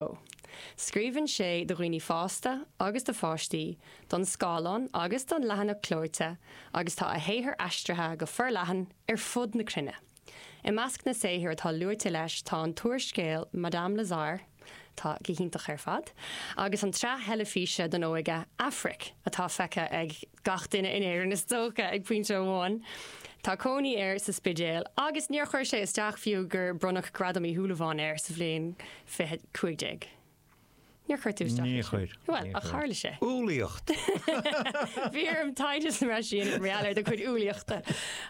Scríobhann sé do dhaoine fásta agus do pháistí, don scáileán agus don leathanach clóite, agus tá a shaothar aistrithe go forleathan ar fud na cruinne. I measc na saothar atá luaite leis tá an t-úrscéal Madame Lazare, atá go hiontach ar fad, agus an tsraith theilifíse don óige Aifric, atá feicthe ag gach duine in Éirinn is dócha, ag pointe amháin. Tá cónaí air sa Spidéal agus níor chuir sé isteach fiú gur bronnadh Gradam Uí Shúilleabháin air sa bhliain 2015. Níor chuir tú isteach ansin. Níor chuir, bhuel, níor chuir, ach tharla sé. Umhlaíocht! Bhí orm taighde sa mbreis mar sin a dhéanamh ar do chuid umhlaíochta.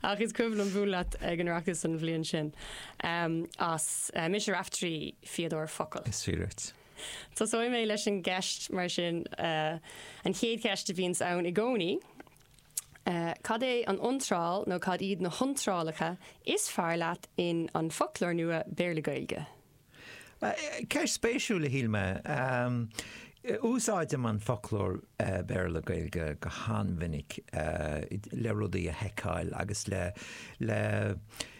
Ach is cuimhin liom bualadh leat ag an Oireachtas an bhliain sin. Em, as eh, Mise Raiftearaí, Fíodóir Focal. Is fíor duit. Tosóidh mé leis an gceist, mar sin, an chéad cheist a bhíonns ann i gcónaí, cad é an iontráil nó cad iad na hiontrálacha is fearr leat in An Foclóir Nua Béarla-Gaeilge? Ceist spéisiúil, a shíl mé. Úsáidim An Foclóir Béarla-Gaeilge go han-mhinic le rudaí a sheiceáil agus le.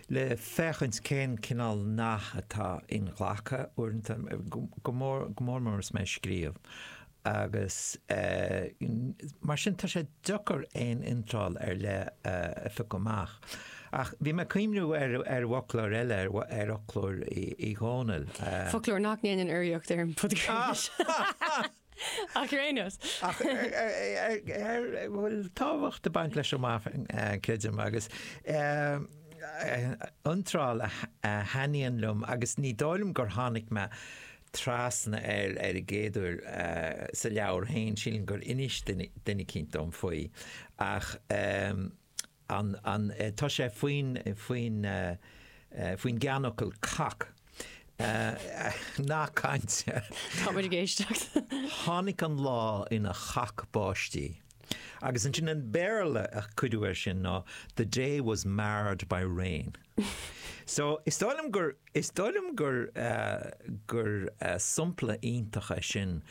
le féachaint cén cineál nath atá inghlactha uaireanta, go mór mór agus mé ag scríobh, agus mar sin tá sé deacair aon iontráil ar leith a phiocadh amach. Ach bhí mé ag cuimhniú ar fhoclóir eile, ar fhoclóir Uí Dhónaill. Foclóir nach ndéanann urraíocht ar an bpodchraoladh seo! Ach ar aon nós. Ach a bhfuil tábhacht ag baint leis chomh maith, creidim, agus iontráil a thaitníonn liom, agus ní dóigh liom gur tháinig mé trasna air ar an gcéad uair sa leabhar féin, sílim gur inis duine eicínt dom faoi, ach an, an, tá sé faoin, faoin, faoin gceannfhocal cac. Nath cainte. Tá muid ag éisteacht. Tháinig an lá ina chac báistí. Agus ansin an Béarla a cuireadh air sin ná the day was marred by rain. So, is dóigh liom gur, is dóigh liom gur, gur sampla iontach é sin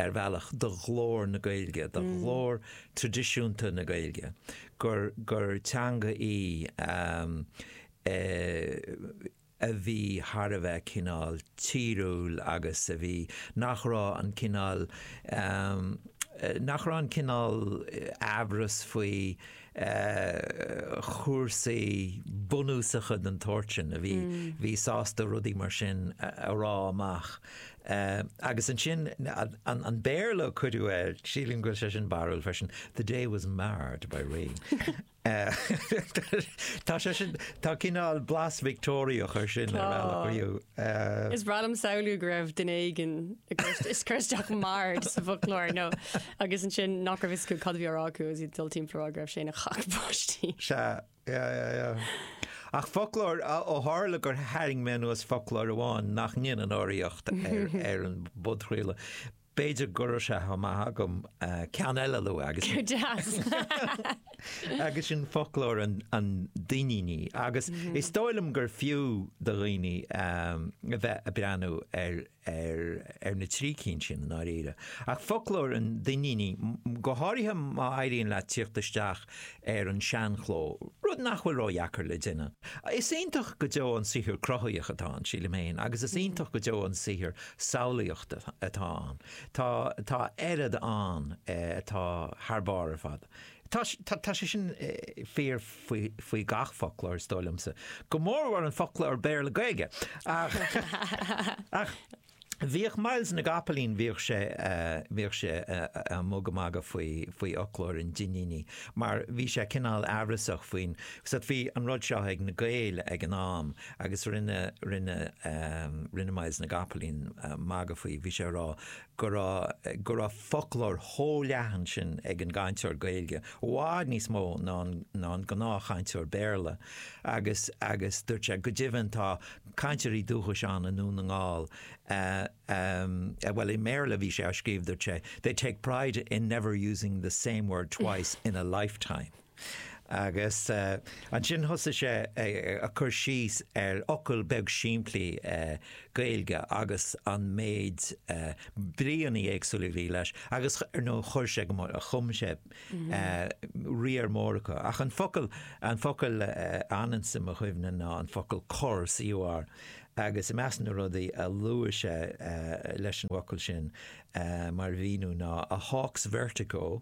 ar bhealach, do ghlór na Gaeilge, do ghlór tradisiúnta na Gaeilge, gur, gur teanga í a bhí thar a bheith cineál tíriúil agus a bhí, nach raibh an cineál, nach raibh an cineál aimhreas faoi, chúrsaí bunúsacha den tsórt sin a bhí bhí sásta rudaí mar sin a rá amach. Agus ansin an Béarla a cuireadh air, sílim go bhfuil sé sin barrúil freisin, 'The day was marred by rain'. Tá sé sin, tá cineál blas Victeoiriach ar sin ar bhealach riamh. Is breá liom samhlú go raibh duine éigin tar éis cur isteach merde sa bhfoclóir nó agus ansin nach raibh a fhios acu cad a bhí á rá acu agus iad ag dul timpeall a rá go raibh sé ina chac báistí. Sea, yeah, yeah, yeah. Ach foclóir, ó tharla gur tharraing mé anuas foclóir amháin nach ndéanann urraíocht ar an bpodchraoladh, B'fhéidir go raibh sé chomh maith agam ceann eile a lua agus. Go deas! Agus sin foclóir an Duinnínigh. Agus is dóigh liom gur fiú do dhaoine a bheith a' breathnú ar na trí cinn sin i ndáiríre. Ach foclóir an Duinnínigh, go háirithe má éiríonn leat tíocht isteach ar an seanchló, rud nach bhfuil ródheacair le déanamh, is iontach go deo an saothar cruthaitheach atá ann, sílim féin, agus is iontach go deo an saothar samhlaíochta atá ann. Tá, tá a oiread ann atá thar barr ar fad. Tá, tá sé sin fíor faoi, faoi gach foclóir, is dóigh liomsa, go mórmhór an foclóir Béarla-Gaeilge. Ach, ach bhíodh Myles na gCopaleen, bhíodh sé, bhíodh sé a' mag- a' magadh faoi, faoi fhoclóir an Duinnínigh mar bhí sé cineál amhrasach faoin, 'cos bhí an rud seo ag na Gaeil ag an am, Agus rinne, rinne, rinne Myles na gCopaleen magadh faoi, bhí sé a rá go raibh, go raibh foclóir chomh leathan sin ag an gcainteoir Gaeilge, i bhfad níos mó ná an, ná an gnáthchainteoir Béarla, agus, agus dúirt sé, go deimhin tá cainteoirí dúchais ann i nDún na nGall a, a, bhuel i mBéarla a bhí sé á scríobh dúirt sé, they take pride in never using the same word twice in a lifetime. Agus ansin thosaigh sé ag cur síos ar fhocal beag simplí Gaeilge agus an méid bríonnaí éagsúla a bhí leis agus nó chuir sé go mór, chum sé riar mór acu. Ach an focal, an focal a fhanann sa mo chuimhne ná an focal cor, C-o-r. Agus i measc na rudaí a luaigh sé leis an bhfocal sin mar mhíniú ná a hawk's vertigo,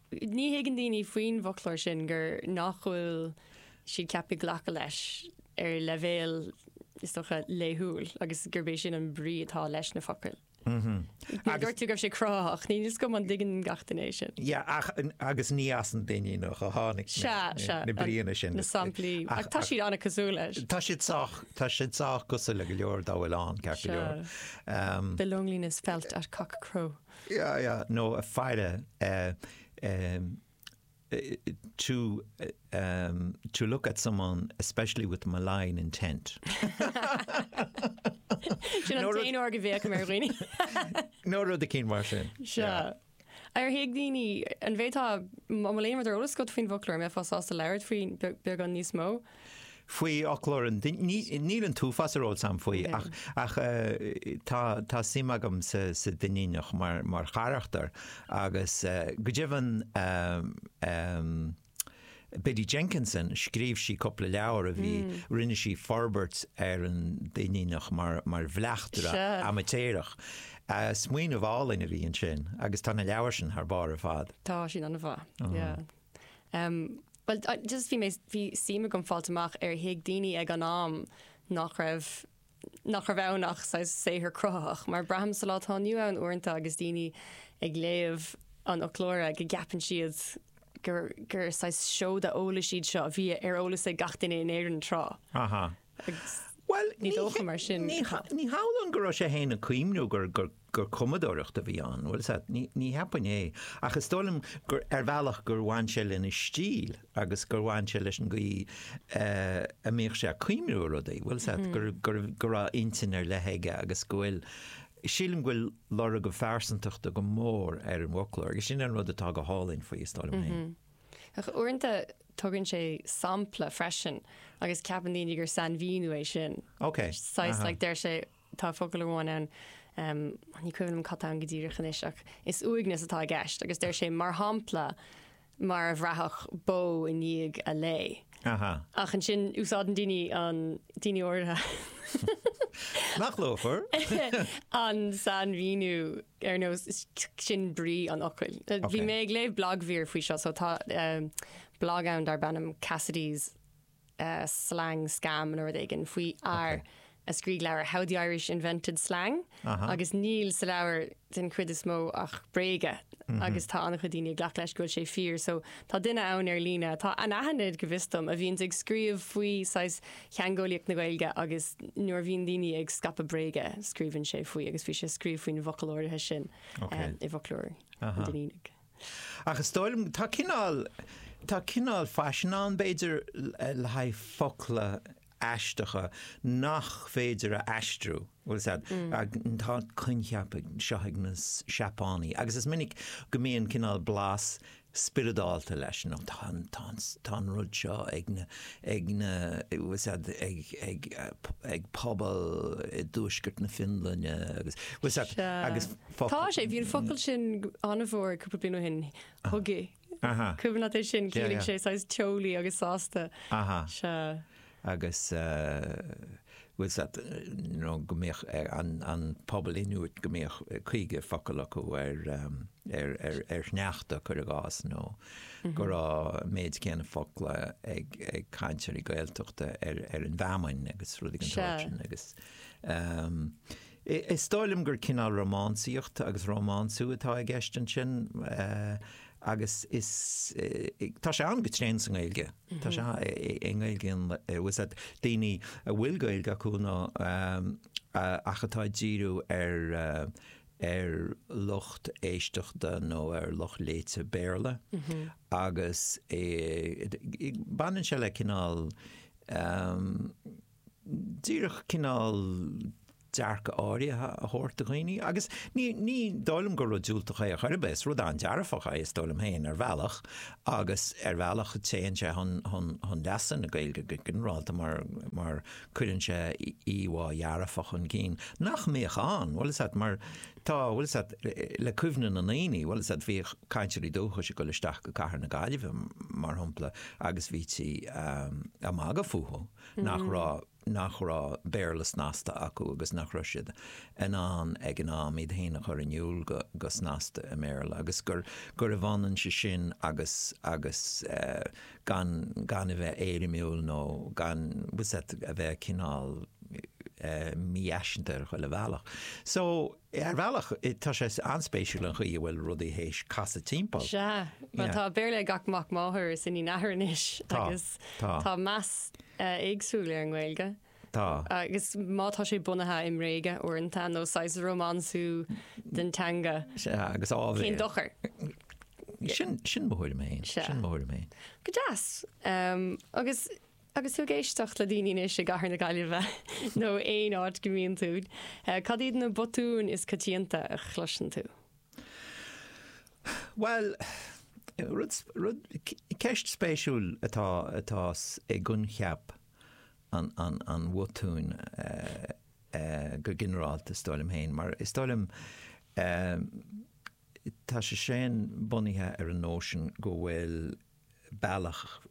Ní thuigeann daoine faoin bhfoclóir sin gur nach bhfuil siad ceaptha glacadh leis ar leibhéal, is dócha, laethúil agus gurb é sin an brí atá leis na focail. Dúirt tú go raibh sé cruthaitheach, níl a fhios agam an dtuigeann gach duine é sin. Yeah, ach, agus ní as an Duinníneach a tháinig na bríonna sin. Na samplaí, ach tá siad an-cosúil leis. Tá siad sách, tá siad sách cosúil le go leor dá bhfuil ann, ceart go leor. Um, the loneliness felt at cockcrow. nó a faire to to look at someone especially with malign intent. Sin an t-aon uair go bhféachaim ar dhaoine. nó rud eicínt mar sin. Sea. Ar thuig daoine, an mbeifeá, tá a lán rudaí ar eolas agat faoin bhfoclóir, an mbeifeá sásta labhairt faoi beagán níos mó? Faoin bhfoclóir, níl an t-uafás ar eolas agam faoi, ach tá suim agam sa Duinníneach mar charachtar, agus go deimhin Biddy Jenkinson, scríobh sí cúpla leabhar a bhí, rinne sí forbairt ar an Duinníneach mar bhleachtaire amaitéarach. Smaoineamh álainn a bhí ansin, agus tá na leabhair sin thar barr ar fad. Tá, sin an-mhaith. Em, bhuel, I just, bhí mé, bhí suim agam fáil amach ar thuig daoine ag an am nach raibh, nach raibh ann ach saghas saothar cruthaitheach, mar braithim sa lá atá inniu ann uaireanta agus daoine ag léamh an fhoclóra go gceapann siad gur, gur saghas seoda eolais iad seo a bhí ar eolas ag gach duine in Éirinn tráth. Aha. agus ní dócha mar sin go. Ní hamhlaidh go raibh sé féin ag cuimhniú gur cumadóireacht a bhí ann, bhuel, sea, ní cheapfainn é, ach is dóigh liom gur ar bhealach gur bhain sé lena stíl agus gur bhain sé leis an gcaoi a mbíodh sé ag cuimhniú ar rudaí, bhuel, sea, go raibh intinn ar leith aige agus go bhfuil, sílim go bhfuil lorg a phearsantachta go mór ar an bhfoclóir agus sin an rud atá go hálainn faoi, is dóigh liom féin. Ach uaireanta tugann sé sampla freisin agus ceapann daoine gur sainmhíniú é sin. Ok, Saghas, aha. like, deir sé, tá focal amháin ann, em, ní cuimhin liom cad tá ann go díreach anois ach is uaigneas atá i gceist agus deir sé mar shampla mar a bhraithfeadh bó i ndiaidh a lao. Aha. Ach ansin úsáideann daoine an, daoine áirithe, Nach luafar? an sainmhíniú ar nós sin brí an fhocail. Bhí Ok. mé ag léamh blagmhír faoi seo, so tá eh, blag ann darb ainm Cassidy's eh, slang scam nó rud éigin faoi fhear a scrígh leabhar How the Irish Invented Slang agus níl sa leabhar den chuid is mó ach bréaga agus tá an-chuid daoine ag glacadh leis go bhfuil sé fíor. So tá duine ann ar líne, atá anaithnid go bhfios dom, a bhíonn ag scríobh faoi saghas teangeolaíocht na Gaeilge agus nuair a bhíonn daoine ag scaipeadh bréaga scríobhann sé faoi agus bhí sé ag scríobh faoin bhfocal áirithe sin i bhfoclóir an Duinnínigh. Ach is dóigh liom, tá cineál, tá cineál faisean ann b'fhéidir le haghaidh focla, aisteacha nach féidir a aistriú. Tá an coincheap seo ag na Seapánaigh agus is minic go mbíonn cineál blas spioradálta leis, nó tá an rud seo ag na ag na ag pobal i dtuaisceart na Fionlainne agus Sea. Tá sé, bhí an focal sin an-mhór cúpla bliain ó shin, hygge. Aha. An cuimhin leat é sin? Yeah, ciallaíonn sé saghas teolaí agus sásta. Aha. Sea. agus eh, bhfuil a fhios agat, nó go mbíodh eh, an, an pobal Inuit go mbíodh eh, caoga focal acu ar, ehm, ar, ar, ar shneachta, cuir i gcás, nó go raibh an méid céanna focla ag, ag cainteoirí Gaeltachta ar, ar an bhfeamainn agus rudaí den tsórt sin agus ehm, Is dóigh liom gur cineál rómánsaíocht agus rómánsú atá i gceist ansin, agus is, tá sé ann go tréan sa nGaeilge, tá sé i nGaeilge, tá a fhios agat, daoine a bhfuil Gaeilge acu nó a, ach atá ag díriú ar, ar lucht éisteachta nó ar lucht léite Béarla, agus baineann sé le cineál, díreach cineál dearcadh áirithe a thabhairt do dhaoine. Agus ní, ní dóigh liom gur rud diúltach é ar chor ar bith, is rud an-dearfach é, is dóigh liom féin, ar bhealach. Agus ar bhealach téann sé chun, chun, chun leasa na Gaeilge go ginearálta mar, mar cuireann sé íomhá dhearfach chun cinn nach mbíodh ann, bhfuil a fhios agat, mar tá, bhfuil a fhios agat, le cuimhne na ndaoine, bhfuil a fhios agat, bhíodh cainteoirí dúchais ag dul isteach go cathair na Gaillimhe, mar shampla, agus bhítí ag magadh fúthu. nach raibh, nach raibh Béarla snasta acu agus nach raibh siad in ann ag, in ann iad féin a chur in iúl go, go snasta i mBéarla agus gur, gurbh ionann é sin agus, agus eh gan, gan a bheith éirimiúil nó gan, bhfuil a fhios agat, a bheith cineál eh mífhaiseanta ar chuile bhealach. So. Ar bhealach, tá sé an-spéisiúil an chaoi a bhfuil rudaí théis casadh timpeall. Sea. Bhuel, tá Béarla ag gach mac máthar is iníon athar anois agus tá meas éagsúil ar an nGaeilge. Tá. Agus má tá sé bunaithe i mbréaga uaireanta nó saghas rómánsú den teanga, cén dochar? Sin mo thuairim fhéin. Sin mo thuairim fhéin. Go deas. Agus. Agus tú ag éisteacht le daoine anois i gCathair na Gaillimhe nó aon áit go mbíonn tú, cad iad na botúin is coitianta a chloiseann tú? Bhuel, rud, rud, ceist spéisiúil atá, atá i gcoincheap an, an, an bhotúin go ginearálta is dóigh liom féin, mar is dóigh liom tá sé sin bunaithe ar an nóisean go bhfuil bealach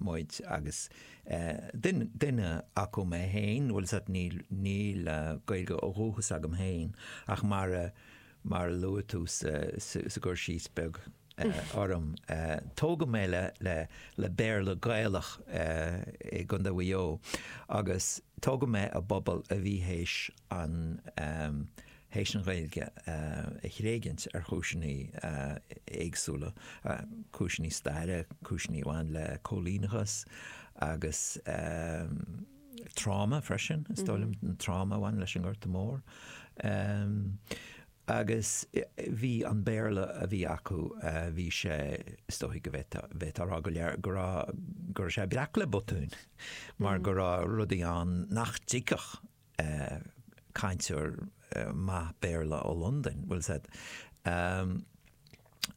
muid agus duine acu mé féin, bhfuil a fhios agat, níl Gaeilge ó dhúchas agam féin ach mar a luaigh tú sa gcur síos beag orm, tógadh mé le Béarla Gaelach i gContae Mhaigh Eo agus tógadh mé i bpobal a bhí théis an théis an Ghaeilge a thréigint ar chúiseanna éagsúla, cúiseanna staire, cúiseanna a bhain le cóilíneachas agus tráma freisin, is dóigh liom, an tráma a bhain leis an nGorta Mór. Agus bhí an Béarla a bhí acu, bhí sé, is dóigh go bhféadfá a rá go léir, go raibh, go raibh sé breac le botúin mar go raibh rudaí ann nach dtuigfeadh cainteoir maith Béarla ó Londain, bhfuil a fhios agat.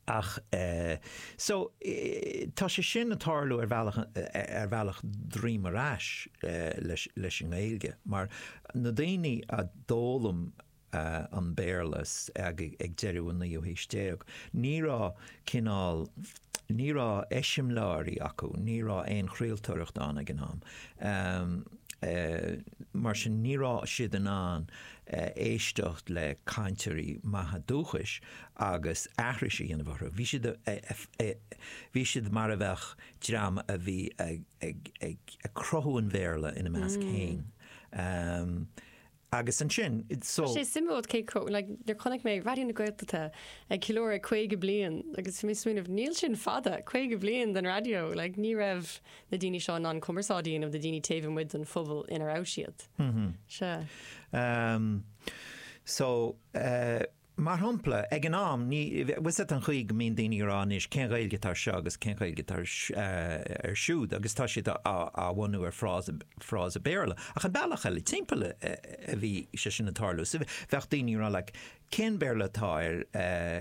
Ach so tá sé sin ag tarlú ar bhealach ar bhealach droim ar ais leis an nGaeilge mar na daoine a d'fhoghlaim an Béarla ag deireadh an naoú haois déag. Ní raibh cineál. ní raibh eiseamláirí acu, ní raibh aon chraoltóireacht ann ag an am. Mar sin, ní raibh siad in ann éisteacht le cainteoirí maithe dúchais agus aithris a dhéanamh orthu. Bhí siad bhí siad mar a bheadh dream a bhí ag cruthú an Bhéarla ina measc féin. Agus ansin, so. Tá sé suimiúil cé chomh, like, nuair a chonaic mé Raidió na Gaeltachta ag ceiliúradh 50 bliain agus bhí mé ag smaoineamh, níl sin fada, 50 bliain den raidió, like, ní raibh na daoine seo in ann cumarsáid a dhéanamh le daoine taobh amuigh den phobal ina raibh siad. Sea. So, Mar shampla, ag an am, ní, bhfuil a fhios agat, an chaoi go mbíonn daoine ag rá anois, cén Ghaeilge atá ar seo agus cén Ghaeilge atá ar, ar siúd, agus tá siad á, á bhunú ar frása, frása Béarla. Ach an bealach eile timpeall a, a bhí sé sin ag tarlú. So bheadh daoine ag rá like, cén Béarla atá ar,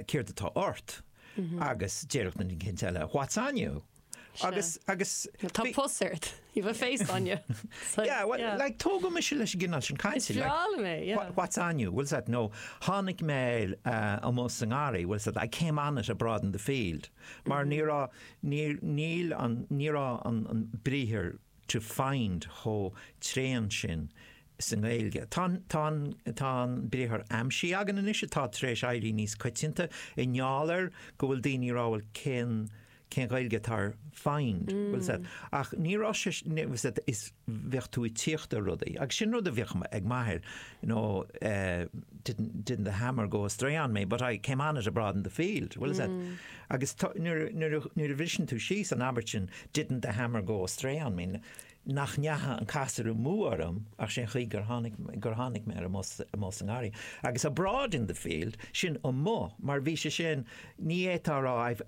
céard atá ort? Agus déarfadh duine eicínt eile what's on you? Agus, agus. Tá pus ort. You have a face on you. Yeah, well, like, tógadh mise leis an gcineál sin cainte. Is breá liom é, yeah. What's on you? Bhfuil a fhios agat, nó tháinig mé air amuigh sa ngarraí, bhfuil a fhios agat, I came on it abroad in the field. Mar ní raibh, níor, níl an, ní raibh an, an briathar to find chomh tréan sin sa nGaeilge. Tá an, tá an, tá an briathar aimsigh againn anois, atá tar éis éirí níos coitianta, i ngeall air go bhfuil daoine ag rá, well, cén, cén Ghaeilge atá ar find? Bhfuil a fhios agat, ach ní raibh sé, sea, is bheadh tú ag tíocht ar rudaí, agus sin rud a bhíodh ag m'athair, you know, eh, didn't, didn't the hammer go astray on me, but I came on it abroad in the field, bhfuil a fhios agat, agus tá, nuair a, nuair a, nuair a bhriseann tú síos an abairt sin, didn't the hammer go astray on me, nach ndeacha an casúr amú orm ach sé'n chaoi gur tháinig, gur tháinig mé air amuigh sa ngarraí, agus abroad in the field, sin amuigh, mar bhí sé sin, ní fhéadfá a rá I've,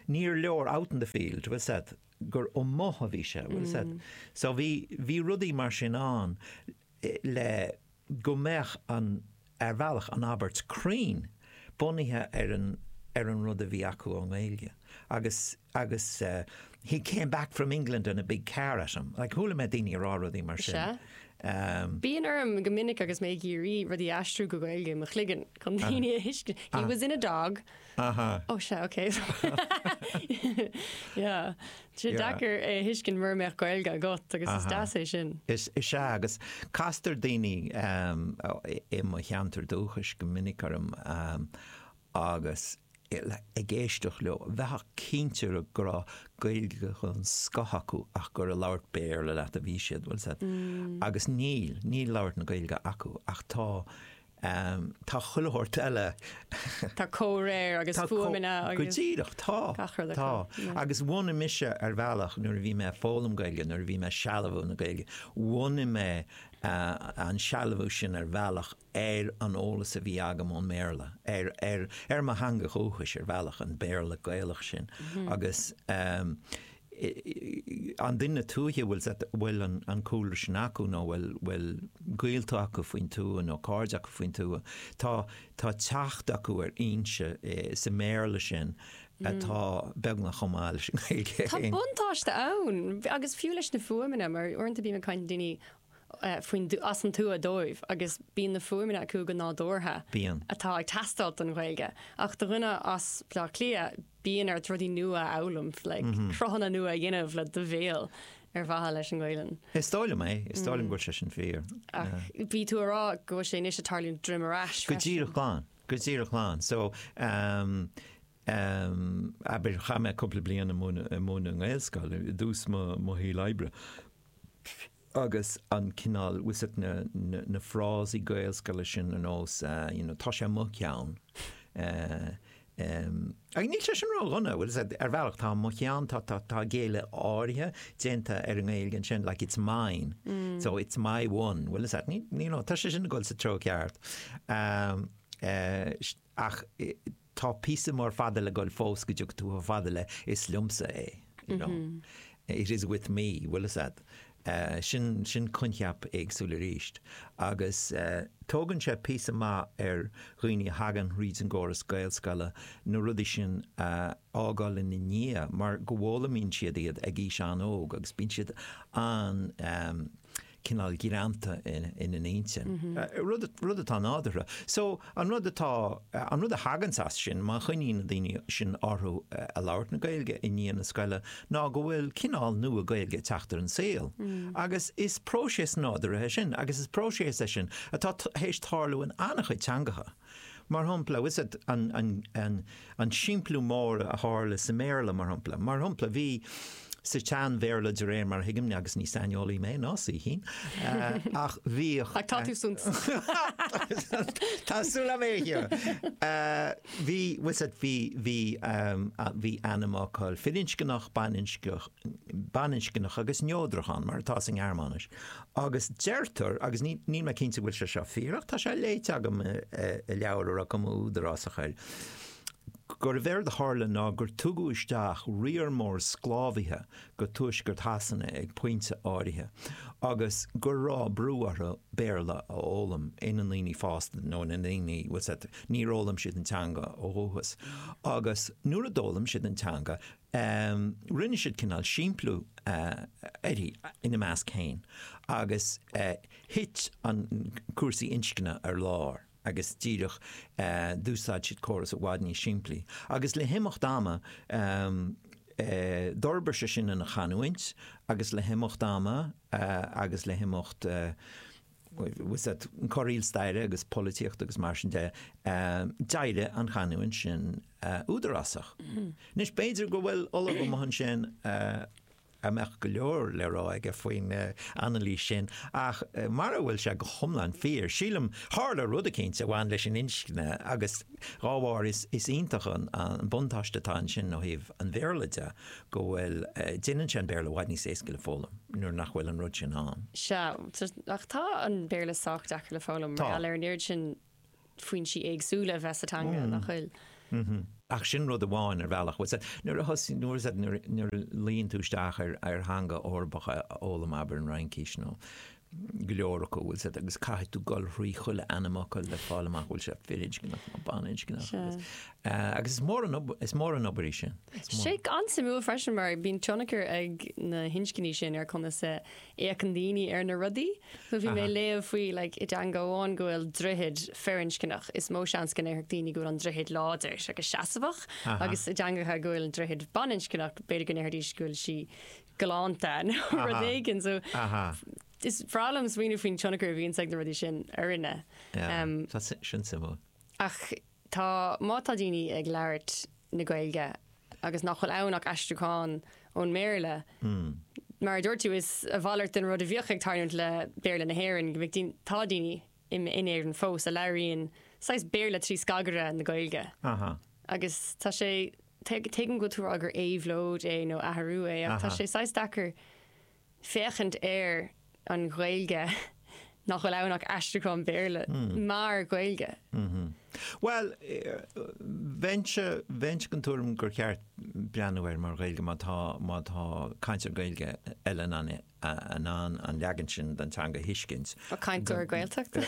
níor leor out in the field, bhfuil a fhios agat, gur amuigh a bhí sé, bhfuil a fhios agat, so bhí, bhí rudaí mar sin ann le, go mbeadh an, ar bhealach, an abairt cruinn bunaithe ar an, ar an rud a bhí acu ón nGaeilge. Agus, agus eh, he came back from England and a big car at him, like chuala mé daoine ag rá rudaí mar sin. Sea. Em. Bíonn orm go minic agus mé ag iarraidh rudaí a aistriú go Gaeilge i mo chloigeann chun daoine a thuiscint, he was in a dog. Aha. Oh sea, ok. Yeah. Sé deacair é a thuiscint mura mbeadh Gaeilge agat agus is deas é sin. Is ea, agus castar daoine i mo cheantar dúchais go minic orm agus ag éisteacht leo, bheifeá cinnte go raibh Gaeilge den scoth acu ach gur ag labhairt Béarla leat a bhí siad, bhfuil a fhios agat. Agus níl, níl labhairt na Gaeilge acu ach tá Ehm, tá chuile shórt eile. Tá comhréir agus Tá co- fuaimeanna go agus díreach tá gach rud tá acu, yeah. agus bhunaigh mise ar bhealach nuair a bhí mé ag foghlaim Gaeilge nuair a bhí mé ag sealbhú na Gaeilge bhunaigh mé eh, an sealbhú sin ar bhealach ar an eolas a bhí agam ón mBéarla ar ar ar mo theanga dhúchais ar bhealach an Béarla Gaelach sin agus ehm, an duine tuaithe a bhfuil a bhfuil an cúlra sin acu nó bhfuil bhfuil gaolta acu faoin tuath nó cairde acu faoin tuath. Tá tá teacht acu ar fhoinse i sa mBéarla sin atá beagnach chomh maith leis an Ghaeilge Tá féin. buntáiste ann agus fiú leis na fuaimeanna mar uaireanta bím ag caint le daoine faoin, as an tuath dóibh agus bíonn na fuaimeanna acu go nádúrtha. Bíonn. atá ag teastáilt don Ghaeilge. Ach do dhuine as Baile Átha Cliath, bíonn ort rudaí nua a fhoghlaim, like cruthanna nua a dhéanamh le do bhéal ar mhaithe leis an nGaolainn. Is dóigh liom é. Is dóigh liom go bhfuil sé sin fíor. Ach bhí tú a rá go bhfuil sé anois ag tarlú droim ar ais freisin. Go díreach, go díreach. So, Am, abair, chaith mé cúpla bliain ag múineadh, ag múineadh i nGaelscoil, i dtús mo, mo shaoil oibre. Agus an cineál, bhfuil a fhios agat na, na, na frásaí Gaelscoile sin ar nós eh, you know, tá sé mo cheann. Eh, em, ach níl sé sin ró-dhona, bhfuil a fhios agat, ar bhealach, tá mo cheann, tá, tá, tá géilleadh áirithe déanta ar an nGaeilge ansin, like it's mine, so it's my one, bhfuil a fhios agat, ní, you know, tá sé sin ag dul sa treo ceart. Am, eh, sh- ach eh, tá píosa mór fada le dhul fós go dteaga tú chomh fada le is liomsa é you know, it is with me, bhuel is ea, sin, sin coincheap éagsúil arís agus tógann sé píosa maith ar dhaoine a thagann thríd an gcóras Gaelscoile na rudaí sin a fhágáil ina ndiaidh mar go bhfoghlaimíonn siad iad ag aois an-óg agus bíonn siad an-, cineál greanta ina n-intinn. rud atá nádúrtha. So, an rud atá, an rud a thaganns as sin, má choinníonn na daoine sin orthu a' labhairt na Gaeilge i ndiaidh na scoile, ná go bhfuil cineál nua Gaeilge a' teacht ar an saol. Agus is próiseas nádúrtha é sin, agus is próiseas é sin atá tar éis tarlú in an-chuid teangacha. Mar shampla, féach ar an simpliú mór a tharla sa mBéarla, mar shampla. Mar shampla, bhí sa tSean-Bhéarla, de réir mar a thuigim, agus ní saineolaí mé, ná saoithín, ach bhí, féach ar, bhí, bhí, bhí ainmfhocal firinscneach, baininscneach agus neodrach ann, mar atá sa nGearmáinis, Agus deirtear, agus níl mé cinnte go bhfuil sé seo fíor, ach tá sé léite agam i leabhar a raibh cuma údarásach air, gurbh éard a tharla ná gur tugadh isteach riar mór sclábhaithe go tuaisceart Shasana ag pointe áirithe agus go raibh brú orthu Béarla a fhoghlaim, ina ndaoine fásta nó ina ndaoine, níor fhoghlaim siad an teanga ó dhúchas, agus nuair a d'fhoghlaim siad an teanga, Ehm, rinne siad cineál simpliú, eh, uirthi, ina measc fhéin, agus, eh, thit an, cúrsaí inscne ar lár, agus díreach, eh, d'úsáid siad córas i bhfad níos simplí, agus le himeacht ama, ehm, eh, d'fhorbair sé sin ina chanúint, agus le himeacht ama, eh, agus le himeacht, eh, corraíl staire agus polaitíochta agus mar sin de, d'éirigh an chanúint sin údarásach. Anois, b'fhéidir go bhfuil Ollamh amuigh ansin a mbeadh go leor le rá aige faoin anailís sin, ach mara bhfuil sé go hiomlán fíor, sílim, tharla rud eicínt a bhain leis an inscne, agus dhá bharr, is iontach an buntáiste atá ansin ó thaobh an Bhéarla de. go bhfuil, déanann sé an Béarla i bhfad níos éasca le foghlaim nuair nach bhfuil an rud sin ann. Sea, ach tá an Béarla sách éasca le foghlaim, mar gheall ar an oiread sin foinsí éagsúla a bheith sa teanga, nach bhfuil? Ach sin rud amháin, ar bhealach. Bhuel, sea, nuair a thosaigh, nuair, sea, nuair a luíonn tú isteach ar theanga Eorpach a fhoghlaim, abair an Fhraincís nó, go leor acu, agus caithfidh tú gol thrí chuile ainmfhocal le fáil amach bhfuil sé firinscneach nó baninscneach, Sea. agus, eh, agus is mór an ob- is mór an obair í sin. Is mór. Tá sé an-suimiúil freisin mar bíonn tionchar ag na hinscní sin ar conas a fhéachann daoine ar na rudaí. So bhí mé ag léamh faoi, like, i dteanga amháin go bhfuil droichead firinscneach, is mó seans go ndéarfadh daoine go bhfuil an droichead láidir agus seasamhach, agus i dteangacha go bhfuil an droichead baninscneach, b'fhéidir go ndéarfaidís go bhfuil sí galánta nó rud éigin. So is breá liom smaoineamh faoin tionchar a bhíonn ag na rudaí sin orainne. Tá sé sin suimiúil. Ach tá, má tá daoine ag labhairt na Gaeilge agus nach bhfuil ann ach aistriúchán ón mBéarla, mar a dúirt tú, is a mhalairt den rud a bhíodh ag tarlúint le Béarla na hÉireann go mbeadh daoine, tá daoine in Éirinn fós a labhraíonn saghas Béarla trí scagaire na Gaeilge. Agus tá sé Tuigim go bhfuil tú ag rá gur éabhlóid é nó athrú é, ach tá sé saghas deacair féachaint ar an Ghaeilge nach bhfuil ann ach aistriúchán Béarla mar Ghaeilge. Bhuel, bheinn den tuairim gur cheart breathnú air mar Ghaeilge má tá cainteoir Gaeilge eile in ann é. in ann an leagan sin den teanga a thuiscint. An cainteoir Gaeltachta é?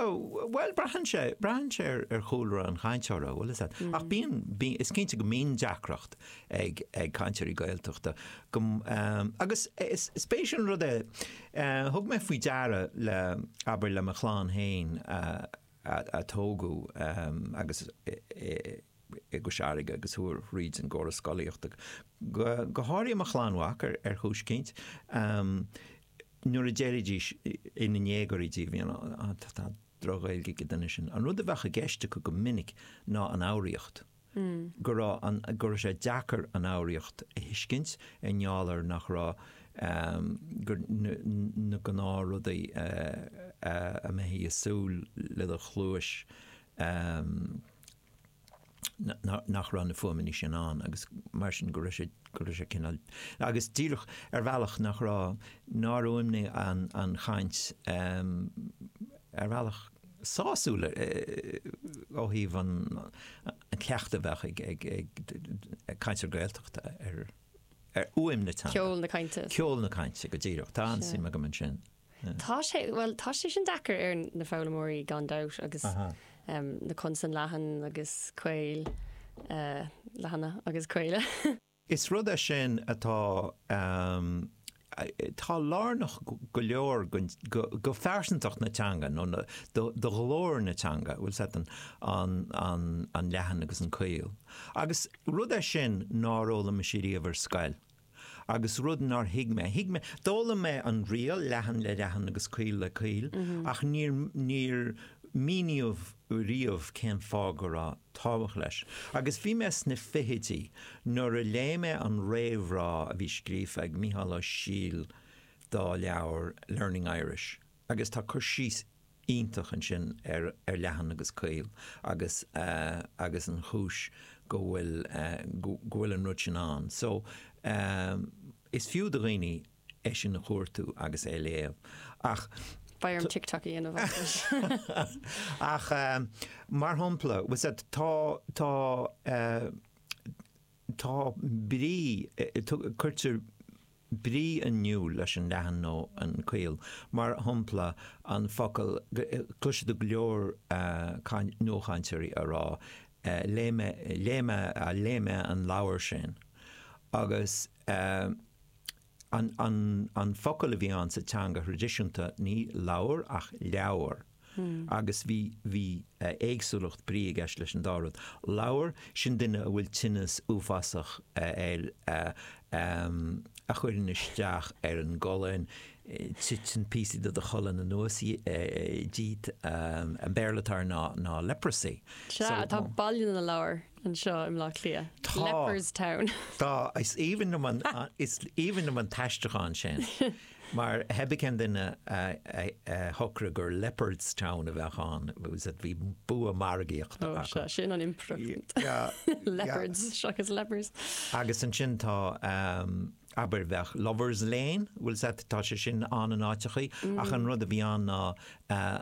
Bhuel, braitheann sé. Braitheann sé ar chúlra an chainteora, bhuel, is ea. Ach bíonn, bíonn, is cinnte go mbíonn deacracht ag, ag cainteoirí Gaeltachta go, agus is, is spéisiúil an rud é, thug mé faoi deara le, abair, le mo chlann fhéin, a tógadh agus i gCois Fharraige agus chuaigh thríd an gcóras scolaíochta, go háirithe mo chlann mhac, ar thuiscint, nuair a d'éirídís ina ndéagóirí díobh, you know, tá droch-Ghaeilge ag an duine sin. An rud a bheadh i gceist acu go minic ná an fhoghraíocht. go raibh an, go raibh sé deacair an fhoghraíocht a thuiscint i ngeall ar nach raibh, gur, na gnáth rudaí a mbeifí ag súil le do chluais, nach raibh na fuaimeanna sin ann agus mar sin go raibh sé, go raibh sé cineál, agus díreach ar bhealach nach raibh, nár fhuaimnigh an chaint ar bhealach. sásúil ó thaobh an chleachtadh a bheadh ag cainteoir Gaeltachta ar fhuaim na teanga. Ceol na cainte. Ceol na cainte, go díreach. Tá an-suim agam ansin. Tá sé, bhuel, tá sé sin deacair ar na foghlaimeoirí gan dabht agus na consain leathan agus caol, leathana agus caola. Is rud é sin atá lárnach go leor do phearsantacht na teanga nó do ghlór na teanga, bhfuil a fhios agat, an leathan agus an caol. Agus rud é sin nár fhoghlaim mise riamh ar scoil agus rud nár thuig mé. D'fhoghlaim mé an riail, leathan le leathan agus caol le caol, ach níor míníodh riamh cén fáth go raibh. tábhacht leis. Agus bhí mé sna fichidí nuair a léigh mé an réamhrá a bhí scríofa ag Micheál Ó Siadhail dá leabhar Learning Irish agus tá cur síos iontach ansin ar ar leathan agus caol agus agus an chúis go bhfuil go bhfuil an rud sin ann. So, is fiú do dhaoine. é sin a chuartú agus é a léamh ach. TikTok a dhéanamh as. Ach mar shampla, tá, tá, tá brí, cuirtear brí in iúl leis an leathan nó an caol, mar shampla an focal, cloisfidh tú go leor nuachainteoirí ag rá léigh mé, léigh mé, léigh mé an leabhar sin agus. Ehm, an, an focal a bhí ann sa teanga thraidisiúnta, ní lobhar ach leabhar. Agus bhí, bhí éagsúlacht brí i gceist leis an dá rud. Lobhar, sin duine a bhfuil tinneas uafásach air, ehm, a chuireann isteach ar an gcolainn, titeann píosaí de do cholainn anuas díot, an Béarla atá air ná, ná leprosy. Sea, tá Baile na Lobhar. anseo i mBleá Cliath. Tá. Leperstown. Tá. Is aoibhinn liom an, is aoibhinn liom an t-aistriúchán sin. Mar theibí cén duine a shocraigh gur Leopardstown a bheadh ann, agus bhí bua margaíochta acu. Ó, sea, sin an improvement. Leopards seachas lepers. Agus ansin tá, abair, bheadh Lovers Lane, bhfuil a fhios agat, tá sé sin ann in áiteachaí, ach an rud a bhí ann ná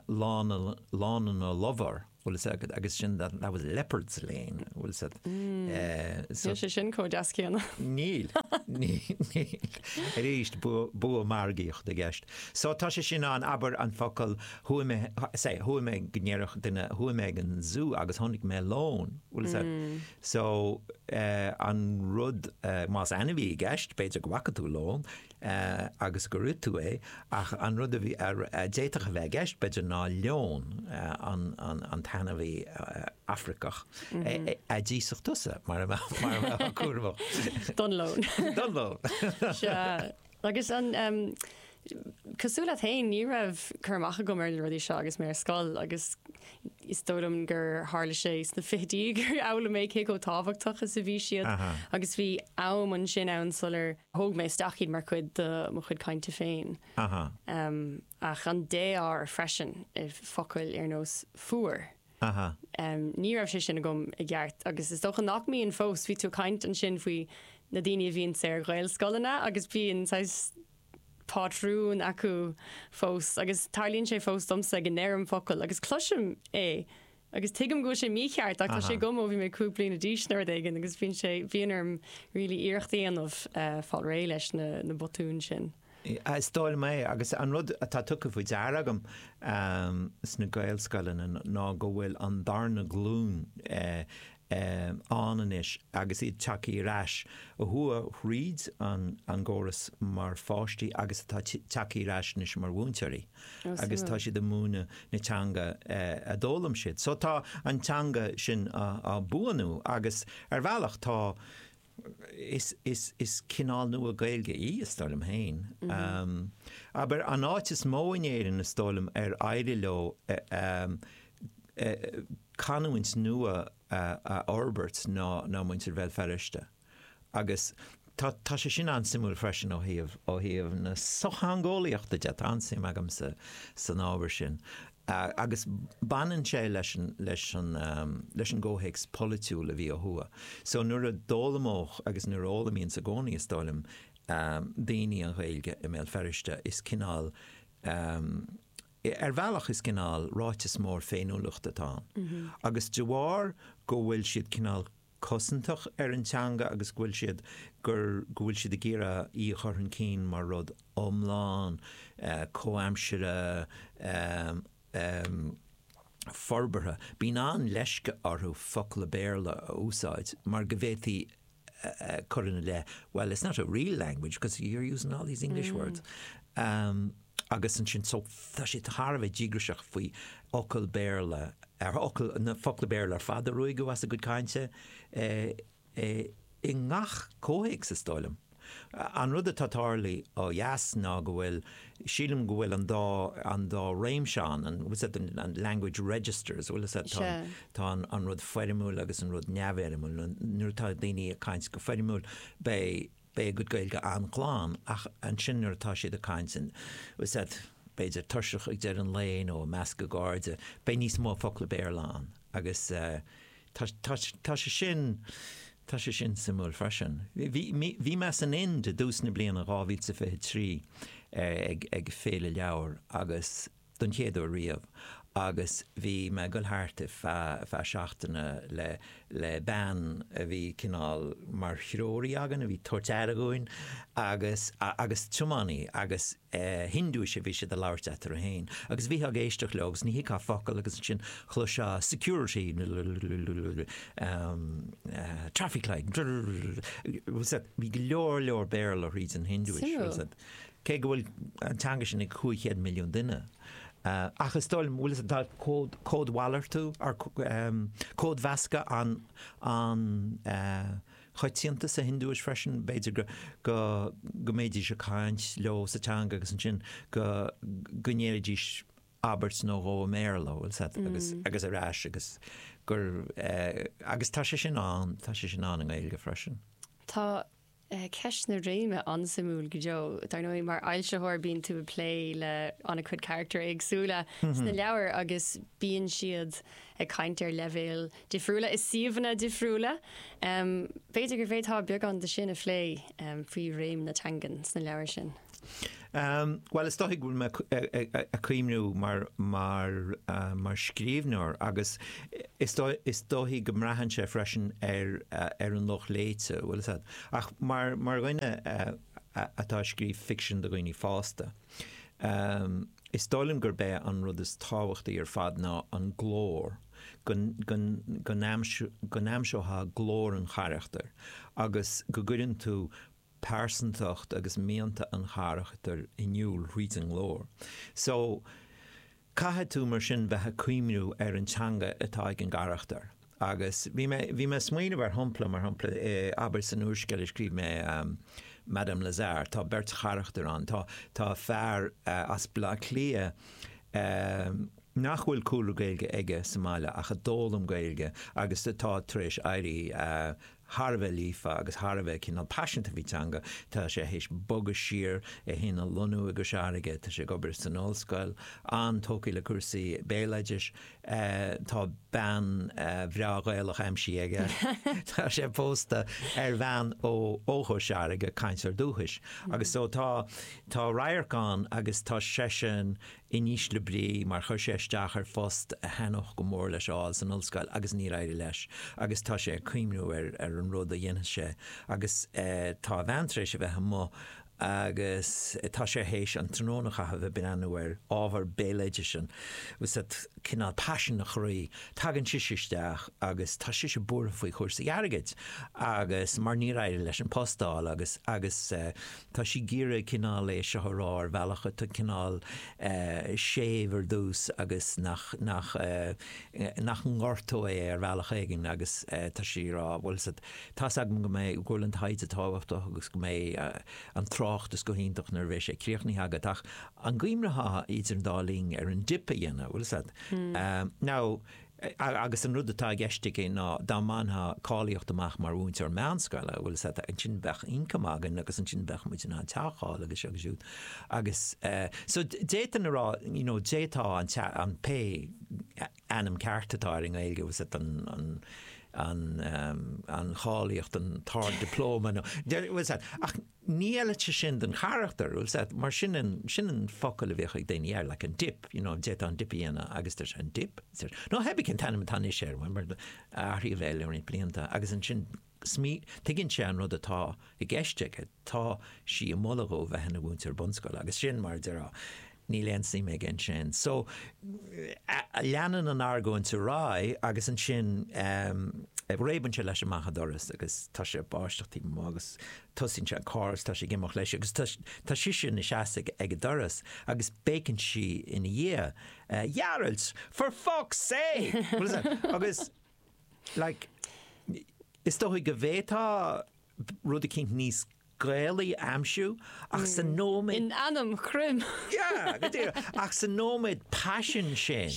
Lána, Lána na Lobhar. Bhfuil a fhios agat agus sin that that was Lepers' Lane bhfuil a fhios agat eh, so. Níl sé sin chomh deas céanna. Níl, níl. Arís, bua margaíocht i gceist. So tá sé sin ann, abair an focal, chuaigh mé, say, chuaigh mé go ndéarfadh duine, chuaigh mé ag an Zoo agus chonaic mé lón, bhfuil a fhios agat. So eh, an rud eh, más ainmhí i gceist, b'fhéidir go bhfaca tú lón, agus gur ith tú é, ach an rud a d'fhéadfadh a bheith i gceist, b'fhéidir, ná leon, an t-ainmhí Afraiceach, a d'íosfadh tusa, mara mbeifeá cúramach. Don leon. Don leon. Sea. Agus an, cosúil leat fhéin, ní raibh cur amach agam ar na rudaí seo agus mé ar scoil, agus is dóigh liom gur tharla sé sna fichidí gur fhoghlaim mé cé chomh tábhachtach is a bhí siad agus bhí am ansin ann sular thóg mé isteach iad mar chuid de mo chuid cainte féin. Ach an défhoghar freisin, focail ar nós 'fuar', ní raibh sé sin agam i gceart agus is dócha nach mbíonn fós, bhí tú ag caint ansin faoi na daoine a bhíonn sna Gaelscoileanna agus bíonn saghas, pátrún acu fós agus tarlaíonn sé fós domsa ag a ndeirim focal agus cloisim é agus tuigim go bhfuil sé mícheart ach tá sé agam ó bhí mé cúig bliana d'aois nó rud éigin agus bíonn sé, bhíonn orm really iarracht a dhéanamh fáil réidh leis na, na botúin sin. Yeah, is dóigh liom é agus an rud atá tugtha faoi deara agam sna Gaelscoileanna ná go bhfuil an darna glúin ann anois agus iad tagtha ar ais a chuaigh thríd an gcóras mar pháistí agus atá tagtha ar ais anois mar mhúinteoirí agus tá siad ag múineadh na teanga a d'fhoghlaim siad. So tá an teanga sin á buanú agus ar bhealach tá is is cineál nua Gaeilge í, is dóigh liom féin. Abair, an áit is mó in Éirinn, is dóigh liom, ar éirigh leo canúint nua a fhorbairt ná ná muintir Bhéal Feirste. Agus tá tá sé sin an-suimiúil freisin ó thaobh ó thaobh na sochtheangeolaíochta de, tá an-suim agamsa san ábhar sin. Agus baineann sé leis an gcomhthéacs polaitiúil a bhí ó thuaidh. So nuair a d'fhoghlaimíodh, agus nuair a fhoghlaimíonns i gcónaí is dóigh liom, daoine an Ghaeilge i mBéal Feirste, is cineál, ar bhealach is cineál ráiteas mór féiniúlachta atá ann. Agus de bharr go bhfuil siad cineál cosantach ar an teanga agus go bhfuil siad gur go bhfuil siad ag iarraidh í a chur chun cinn mar rud iomlán, comhaimsire, forbartha. Bíonn an-leisce orthu focla Béarla a úsáid mar go bhféadfaí cur ina leith, well, it's not a real language because you're using all these English words. Agus ansin, so, tá siad thar a bheith díograiseach faoi fhocail Béarla, ar fhocail, na focla Béarla ar fad a ruaigeadh as a gcuid cainte, i ngach comhthéacs, is dóigh liom. An rud atá tarlaí ó dheas ná go bhfuil, sílim go bhfuil an dá, an dá réimse ann, an bhfuil a fhios agat, an language registers, bhfuil a fhios agat, tá, tá an rud foirmiúil agus an rud neamhfhoirmiúil, nuair atá daoine ag caint go foirmiúil, beidh, beidh a gcuid Gaeilge an-glan, ach ansin nuair atá siad ag caint, bhfuil a fhios agat, b'fhéidir tuirseach ag deireadh an lae nó i measc a gcairde, beidh níos mó focla Béarla ann agus tá, tá, tá sé sin, tá sé sin suimiúil freisin. Bhí, bhí, bhí mé san Ind i dtús na bliana 2023 ag, ag féile leabhar agus don chéad uair riamh agus bhí mé ag goil thart ar feadh seachtaine le bean a bhí cineál mar threoraí againn, a bhí ag tabhairt aire dhúinn agus agus tiománaí agus Hiondúis a bhí siad ag labhairt eatarthu féin agus bhí tú ag éisteacht leo agus ní thuigfeá focal agus ansin chloisfeá security traffic light bhí go leor leor Béarla thríd an Hiondúis. cé go bhfuil an teanga sin ag 500 milliún duine. Ach is dóigh liom, bhfuil fhios a'd códmhalartú, nó códmheascadh an-choitianta sa Hiondúis freisin, b'fhéidir go mbeidís ag caint leo sa teanga agus ansin go ndéarfaidís abairt nó dhó i mBéarla, bhfuil fhios a'd, agus ar ais agus gur, agus tá sé sin ann, tá sé sin ann i nGaeilge freisin. Tá Ceist na réime, an-suimiúil go deo. Dar ndóigh, mar fhoilsitheoir bíonn tú ag plé le an-chuid carachtar éagsúla sna leabhair agus bíonn siad ag caint ar leibhéil difriúla i suíomhanna difriúla. B'fhéidir go bhféadfá beagán de sin a phlé, faoi réim na teangan sna leabhair sin? Bhuel, is dóigh go bhfuil mé ag cuimhniú mar scríbhneoir agus is dóigh go mbraitheann sé freisin ar an lucht léite, bhfuil fhios a'd, ach mar dhuine atá ag scríobh ficsin do dhaoine fásta, is dóigh liom gurb é an rud is tábhachtaí ar fad ná an glór, go n-aimseofá glór an charachtair agus go gcuireann tú pearsantacht agus mianta an charachtair in iúl thríd an nglór so caithfidh tú mar sin bheith ag cuimhniú ar an teanga atá ag an gcarachtar agus bhí mé, bhí mé ag smaoineamh ar shompla, mar shompla, abair san úrscéal a scríobh mé Madame Lazare, tá beirt charachtar ann, tá, tá fear as Baile Átha Cliath nach bhfuil cúlra Gaeilge aige sa mbaile ach a d'fhoghlaim Gaeilge agus atá tar éis éirí thar a bheith líofa agus thar a bheith cineál paiseanta faoi teanga. Tá sé théis bogadh siar, é fhéin a lonnú i gCois Fharraige, tá sé ag obair san ollscoil, an-tógtha le cúrsaí béaloidis, tá bean bhreá Ghaelach aimsithe aige, tá sé pósta ar bhean ó ó Chois Fharraige, cainteoir dúchais, agus so tá tá radharc ann agus tá seisean in ísle brí mar chuir sé isteach ar phost a thaithneodh go mór leis a fháil san ollscoil agus níor éirigh leis agus tá sé ag cuimhniú ar an rud a dhéanfas sé agus tá a bhean tar éis a bheith amuigh agus tá sé théis an tráthnóna a chaitheamh ag breathnú ar ábhar béaloidis, bhfuil fhios a'd, cineál paisean a chroí, tagann sise isteach agus tá sise buartha faoi chúrsaí airgid agus mar níor éirigh leis an post a fháil agus, agus. Tá sí ag iarraidh cineál é seo a rá ar bhealach atá cineál séimh ar dtús agus nach nach nach ngortóidh é ar bhealach éigin agus tá sí a rá bhfuil fhios a'd tá 's agam go mbeidh go bhfuil an taighde tábhachtach agus go mbeidh an tráchtas go hiontach nuair a bheidh sé críochnaithe agat ach an gcuimhneofá idir an dá linn ar an dip a dhéanamh bhfuil fhios a'd. Now Agus an rud atá i gceist aici ná dá mbainfeá cáilíocht amach mar mhúinteoir meánscoile, bhuel, is ata, ansin bheadh ioncam againn agus ansin bheadh muid in ann teach a fháil agus seo go siúd. Agus eh, so d'fhéadfainn a rá, you know, d'fhéadfá an tea, an, pé ainm ceart atá air i nGaeilge, was it an, an, an, an, an cháilíocht, an, tár diploma nó, was it, ach, Ní fheileadh sé sin don charachtar, bhfuil fhios a'd, mar sin an, sin an focal a bhíodh ag daoine air, like an dip, you know, d'fhéadfá an dip a dhéanamh agus deir sé, an dip? Deir, no, theibí cén t-ainm atá anois air, mar athraíodh é le roinnt blianta agus ansin smí, tuigeann sé an rud atá i gceist aici, tá sí ag moladh dó a bheith ina mhúinteoir bunscoile agus sin mar a déarfá, Níl aon suim aige ansin. So, leanann an argóint ar aghaidh agus ansin réabann sé leis amach an doras agus tá sé ag báisteach taobh amuigh agus tosaíonn sé an carr agus tá sé ag imeacht leis agus tá sise ina seasamh ag an doras agus béiceann sí ina dhiaidh, Ghearailt! For fuck's sake! Agus, like, is dóigh go bhféadfá. rud eicínt níos Gaelaí a aimsiú, ach sa nóiméad. In ainm Chroim! Yeah, go díreach! Ach sa nóiméad paisin sin,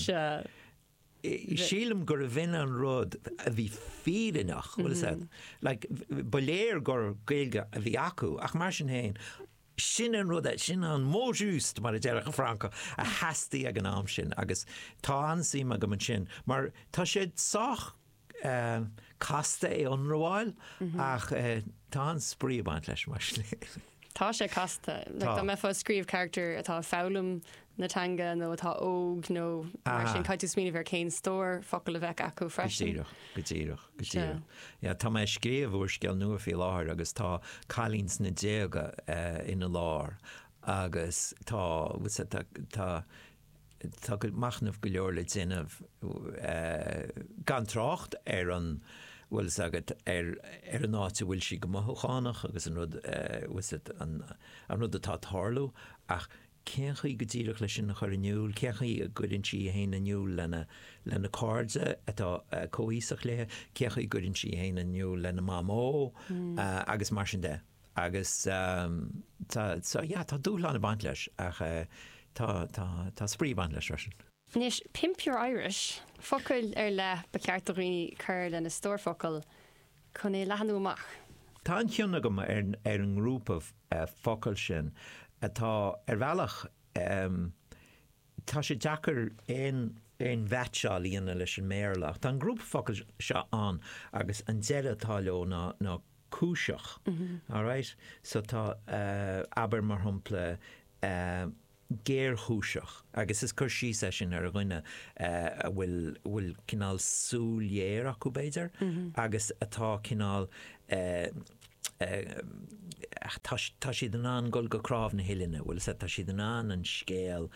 sílim gurbh in an rud a bhí fírinneach, bhfuil fhios a'd. Like, ba léir gur Gaeilge a bhí acu, ach mar sin féin, Sin an rud, sin an mot juste, mar a déarfadh an Francach, a theastaigh ag an am sin agus tá an-suim agam ansin mar tá sé sách casta é a ionramháil ach tá an-spraoi ag baint leis mar sin. Tá sé casta. Tá. Dá mbeifeá ag scríobh carachtar atá ag foghlaim na teanga nó atá óg nó mar sin, caithfidh tú smaoineamh ar cén stór focal a bheadh acu freisin. Go díreach, go díreach, go díreach. Yeah, tá mé ag scríobh úrscéal nua faoi láthair agus tá cailín sna déaga ina lár agus tá, sea, tá, tá, tá machnamh go leor le déanamh, gan trácht ar an, bhfuil 'fhios agat, ar an áit a bhfuil sí go mothúchánach agus an rud, sea, an rud atá ag tarlú ach, Cén chaoi go díreach leis sin a chur in iúl? Cén chaoi a gcuireann sí í féin in iúl lena cairde atá comhaoiseach léi? Cén chaoi a gcuireann sí í féin in iúl lena mamó? agus mar sin de. Agus tá, tá dúshlán ag baint leis ach tá, tá, tá spraoi ag baint leis freisin. Anois, pimp your Irish! Focail ar leith ba cheart do dhaoine cur lena stór focal chun é a leathnú amach. Tá an-chion agam ar an ngrúpa focal sin, atá, ar bhealach, tá sé deacair aon mheaitseáil a dhéanamh leis an mBéarla, ach tá an grúpa focal seo ann agus an deireadh atá leo ná cúiseach, alright? So tá, abair, mar shampla. géarchúiseach agus is cur síos é sin ar dhuine a bhfuil bhfuil cineál súil ghéar acu b'fhéidir agus atá cineál tá tá siad in ann dul go cnámh na huillinne bhfuil 's a'd tá siad in ann an scéal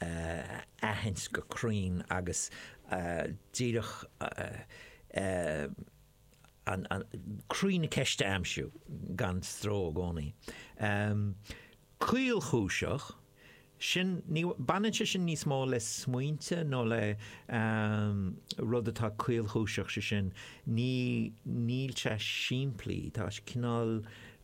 a aithint go cruinn agus díreach Croí na ceiste a aimsiú gan stró i gcónaí. Caolchúiseach? Sin, ní, baineann sé sin níos mó le smaointe nó le rud atá caolchúiseach, sé sin, ní, níl sé simplí, tá cineál,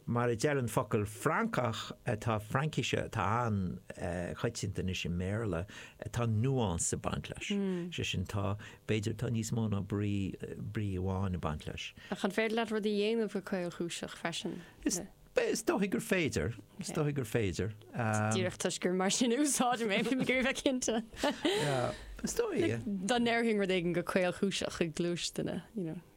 Mar a deir an focal Francach atá Fraincise atá an-choitianta anois i mBéarla, tá nuance ag baint leis. Is é sin, tá, b'fhéidir, tá níos mó ná brí, brí amháin ag baint leis. Ach an féidir leat rud a dhéanamh go caolchúiseach freisin? Is, is dóigh gur féidir, is dóigh gur féidir. Díreach toisc gur mar sin a úsáidim é, bím ag iarraidh bheith cinnte. Yeah, is dóigh, yeah. Dá ndeirfainn rud éigin go caolchúiseach i gcluas duine, you know.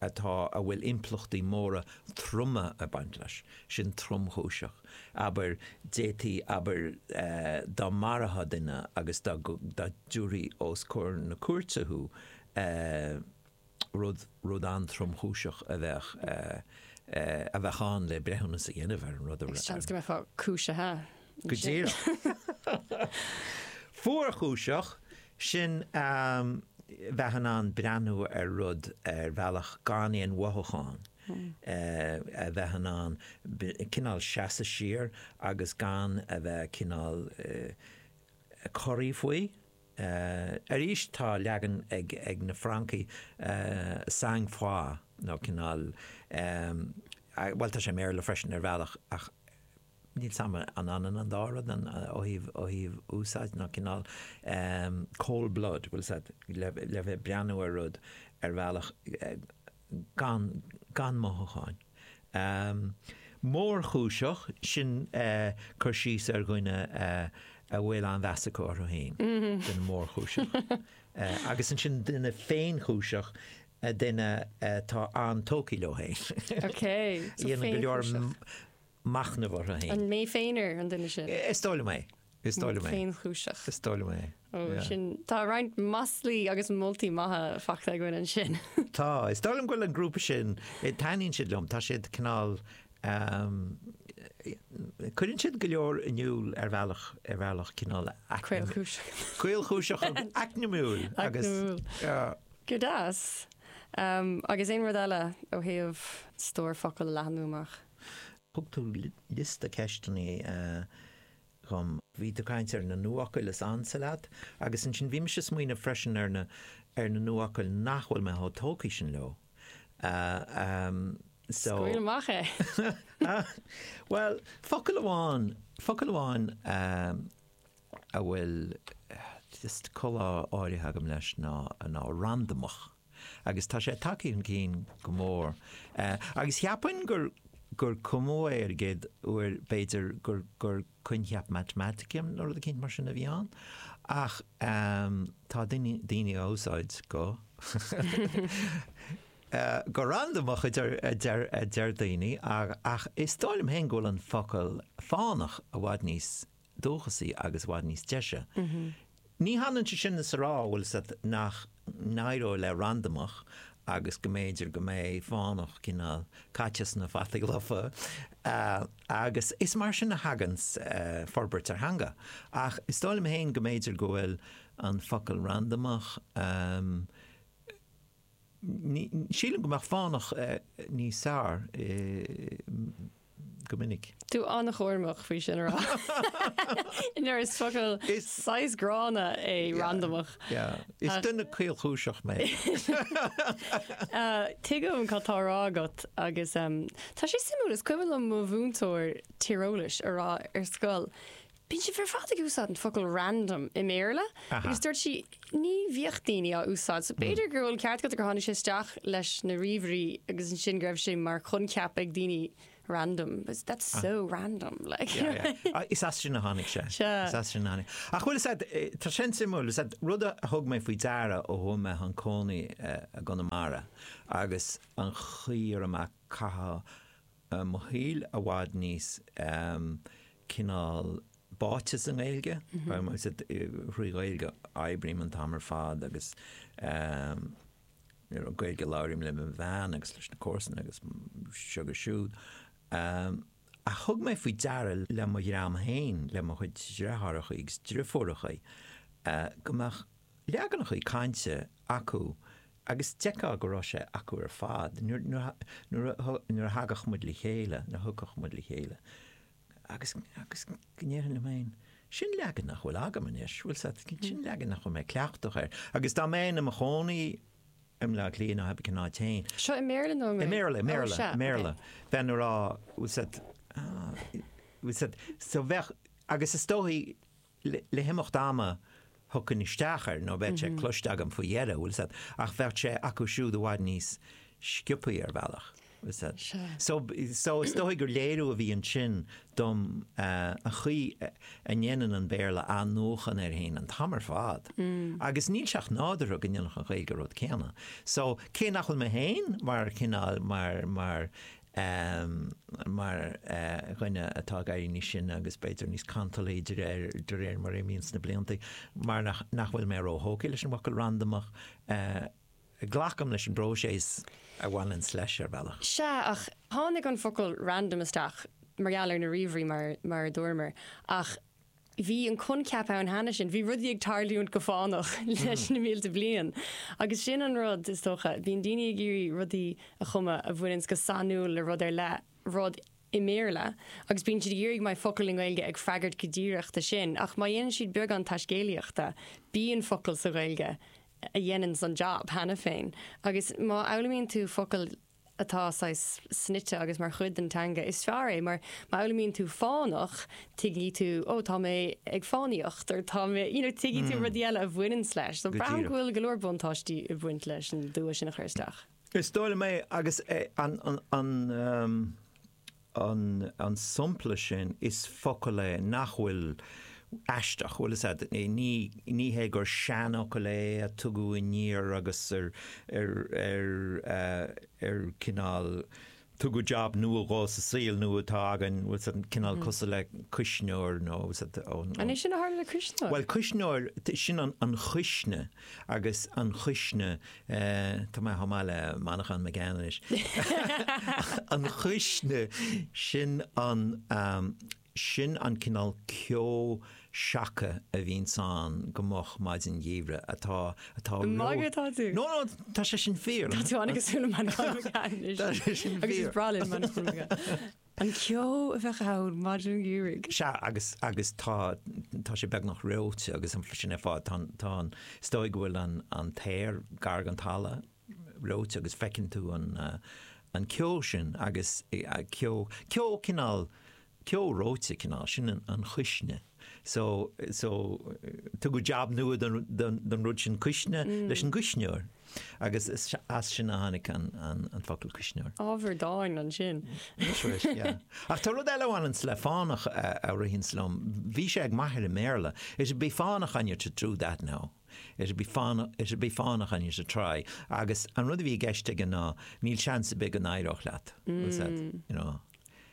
atá, a bhfuil impleachtaí móra troma ag baint leis, sin tromchúiseach, abair, d'fhéadfaí, abair, dá marófá duine agus dá dtabharfaí os comhair na cúirte thú, rud, rud an-tromchúiseach a bheadh, a bheadh ann le breithiúnas a dhéanamh ar an rud a. Seans go mbeifeá cúisithe Go díreach. Fuarchúiseach, sin a bheith in ann breathnú ar rud ar bhealach gan aon mhothúcháin, a bheith in ann cineál seasamh siar agus gan a bheith cineál corraí faoi. Arís, tá leagan ag na Francaigh sang froid nó cineál, bhuel tá sé i mBéarla freisin ar bhealach ach, níl 's agam an ionann an dá rud ó thaobh úsáid nó cineál, cold blood, bhfuil 's a'd, le bheith ag breathnú ar rud ar bhealach gan gan mothúcháin. Mórchúiseach, sin cur síos ar dhuine a bhfuil an-mheas acu orthu fhéin, duine mórchúiseach. Agus ansin duine féinchúiseach, duine atá an-tógtha leo fhéin. Bíonn go leor machnamh orthu féin. An mé féin ar an duine sin? Is dóigh liom é. Is dóigh liom é. Féinchúiseach. Is dóigh liom é. Ó, Yeah. sin, tá roinnt maslaí agus moltaí maithe faighte againn ansin. Tá. Is dóigh liom go bhfuil an grúpa sin, eh, taitníonn siad liom, tá siad cineál, ehm, eh, cuireann siad go leor in iúl ar bhealach, ar bhealach cineál aicne- Caolchúiseach. caolchúiseach agus aicnimiúil agus, Aicnimiúil. yeah. Go deas. Ehm, agus aon rud eile ó thaobh stór focal a leathnú amach? Thug tú liosta ceisteanna dhom. Bhí tú ag caint ar na nuafhocail is ansa leat, agus ansin bhí mise ag smaoineamh freisin ar na ar na nuafhocail nach bhfuil mé chomh tógtha sin leo. So. Scaoil amach é! Bhuel, focal amháin, focal amháin a bhfuil just comhbhá áirithe agam leis ná ná randamach. agus tá sé tagtha chun cinn go mór. Agus cheapfainn gur gur cumadh é an chéad uair, b'fhéidir gur gur coincheap Matamatice nó rud eicínt mar sin a bhí ann, ach tá daoine daoine á úsáid go go randamach a deir a deir a deir daoine, ach is dóigh liom féin go bhfuil an focal fánach i bhfad níos dúchasaí agus i bhfad níos deise. Ní hionann é sin is a rá, bhuel, nach n-éireoidh le randamach agus go mb'fhéidir go mbeidh fánach cineál caite sna fataí lofa agus is mar sin a thagann forbairt ar theanga. Ach is dóigh liom féin go mb'fhéidir go bhfuil an focal randamach, sílim go mbeadh fánach níos fearr. go minic. Tá tú an-chúramach faoi sin a rá. Mar is focal saghas gránna é randamach. Is duine caolchúiseach mé. Tuigim cad tá á rá agat agus tá sé suimiúil, is cuimhin liom mo mhúinteoir tíreolais a rá ar scoil, Bíonn siad ar fad ag úsáid an focal random i mBéarla agus dúirt sí ní bhíodh daoine á úsáid so b'fhéidir go bhfuil an ceart agat gur tháinig sé isteach leis na ríomhairí agus ansin go raibh sé mar choincheap ag daoine random but that's so random like yeah is as sin a tháinig sé is as sin a tháinig ach bhuel is ea tá sin suimiúil is ea rud a thug mé faoi deara ó chuaigh mé chun cónaí i gConamara agus an chaoi a mbím ag caitheamh mo shaoil i bhfad níos cineál báite sa nGaeilge, thrí Ghaeilge a oibrím an t-am ar fad agus Gaeilge a labhraím le mo bhean agus leis na comharsana agus seo agus siúd. Ach thug mé faoi deara le mo dhream féin, le mo chuid dreitheárachaí agus dreifiúrachaí, go mbeadh leaganachaí cainte acu Agus d'fheicfeá go raibh sé acu ar fad. Nuair a thagadh muid le chéile, nuair a thiocfadh muid le chéile, agus, agus go ndéarfainn liom fhéin, 'sin leagan nach bhfuil agam anois, bhfuil 'fhios a'd, sin leagan nach bhfuil mé cleachtach air. Agus dá mbeinn i mo chónaí i mBleá Cliath nó ab ea, ná déarfainn. Seo i mBéarla nó i nGaeilge? I mBéarla, i mBéarla, i mBéarla. Bheinn a' rá, bhfuil 'fhios a'd, bhfuil 'fhios a'd, so bheadh, agus is dóigh, Le himeacht ama thiocfainn isteach air, nó bheadh sé cloiste agam faoi dheireadh, bhfuil fhios a't, ach bheadh sé acu siúd i bhfad níos sciopaí ar bhealach, bhfuil fhios a't. So, so is dóigh gur léiriú a bhí ansin dom ar an gcaoi a ndéanann an Béarla athnuachan air fhéin an t-am ar fad, agus níl sé ach nádúrtha go ndéanfadh an Ghaeilge an rud céanna. So, cé nach bhfuil mé féin mar chineál, mar, mar, Am, mar dhuine atá ag éirí níos sine agus b'fhéidir níos cantalaí de réir mar a imíonns na blianta, mar nach bhfuil mé ró-thógtha leis an bhfocal 'randamach', glacaim leis an bpróiseas a bhaineanns leis ar bhealach. Sea, ach tháinig an focal 'random' isteach mar gheall ar na ríomhairí mar a dúramar, ach Bhí an coincheap ann cheana sin, bhí rudaí ag tarlúint go fánach leis na mílte bliain. Agus sin an rud, is dócha, bíonn daoine ag iarraidh rudaí a chumadh a bhaineanns go sainiúil le rud ar leith, rud i mBéarla, agus bíonn siad ag iarraidh go mbeidh focal i nGaeilge ag freagairt go díreach do sin. Ach má dhéanann siad beagán taiscéalaíochta, bíonn focal sa Ghaeilge a dhéananns an jab cheana féin. Agus má fhoghlaimíonn tú focal atá saghas snoite agus mar chuid den teanga, is fearr é, mar má fhoghlaimíonn tú fánach, tuigfidh tú, oh, tá mé ag fánaíocht, or tá mé, you know, tuigfidh tú rudaí eile a bhaineanns leis. So braithim go bhfuil go leor buntáistí ag baint leis an dua sin a chur isteach. Is dóigh liom é, agus an, an, an, an, an sampla sin is focal é nach bhfuil aisteach, bhfuil 'fhios a'd, ní hé gur seanfhocal é a tugadh aniar agus ar cineál tugadh jab nua dhó sa saol nua atá againn, bhfuil 'fhios a'd, cineál cosúil le cuisneoir nó. An é sin a tharla le cuisneoir? Bhuel cuisneoir, sin an cuisne agus an chuisne, tá mé chomh maith le Manchán Magan anois, an chuisne, sin an, sin an cineál ceo seaca a bhíonns ann go moch maidin gheimhridh, atá, atá ró-. Magadh atá tú. No, no, tá sé sin fíor. Tá tú an-chosúil le Manchán Magan anois. Tá sé sin fíor. Agus is breá linn Manchán Magan. An ceo a bheadh ann maidin gheimhridh. Sea, agus, agus tá, tá sé beagnach reoite agus sin ar fad, tá, tá an, is dóigh go bhfuil an, an t-aer gar don talamh reoite agus feiceann tú an, an ceo sin agus ceo, ceo cineál, ceo reoite cineál, sin an chuisne. so, so tugadh jab nua don rud sin cuisne leis an gcuisneoir agus as sin a tháinig an focal cuisneoir. Ábhar dáin ansin. That's right, yeah. Ach tá rud eile a bhaineanns le fánach a ritheanns liom, bhí sé ag m'athair i mBéarla, it'll be fánach on you to do that now, it'll be fánach, it'll be fánach on you to try, agus an rud a bhí i gceist aige ná níl seans ar bith go n-éireodh leat, was that, you know,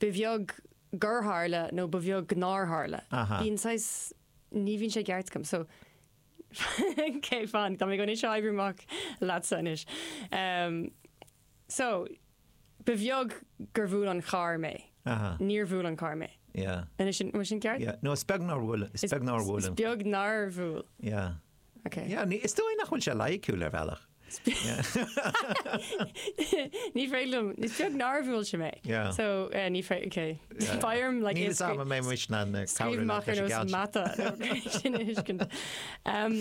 Ba bheag gur tharla nó ba bheag nár tharla. Bíonn saghas, ní bhíonn sé i gceart agam, so cé fan, tá mé anois ag oibriú amach leatsa anois. So, ba bheag gur bhuail an carr mé. Níor bhuail an carr mé. Anois sin, bhfuil sin ceart? Yeah, no, is beag nár bhuail, is beag nár bhuail. Is beag nár bhuail. Yeah. Ok. Yeah, ní, is dóigh nach bhfuil sé loighiciúil ar bhealach. Ní féidir liom, is beag nár bhuail sé mé. Yeah. So, eh, ní fé-, ok. Yeah. Ba éirim, like, Níl a fhios agam an mbeidh muis na na cabhrú Scríobh leat amach ar leis an nós gceann sin. mata nó céard sin a thuiscint. Em,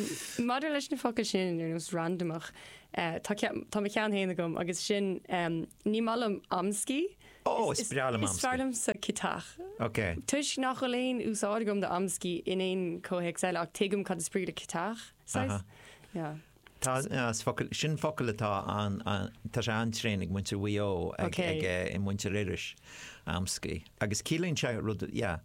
maidir leis na focail sin ar nós randamach, eh, tá ceann, tá ceann amháin agam agus sin, em, ní maith liom amscaí. Ó, is breá liom Is fearr amscaí. liomsa ciotach. Ok. Toisc nach bhfuil aon úsáid agam do amscaí in aon chomhthéacs eile, ach tuigim cad is brí le ciotach, saghas? Aha. Yeah. Tá, as focal, sin focal atá an, tá sé an-tréan ag muintir Mhaigh Eo, ag, ag, ag muintir Iorrais, amscaí. Agus ciallaíonn sé rud, yeah.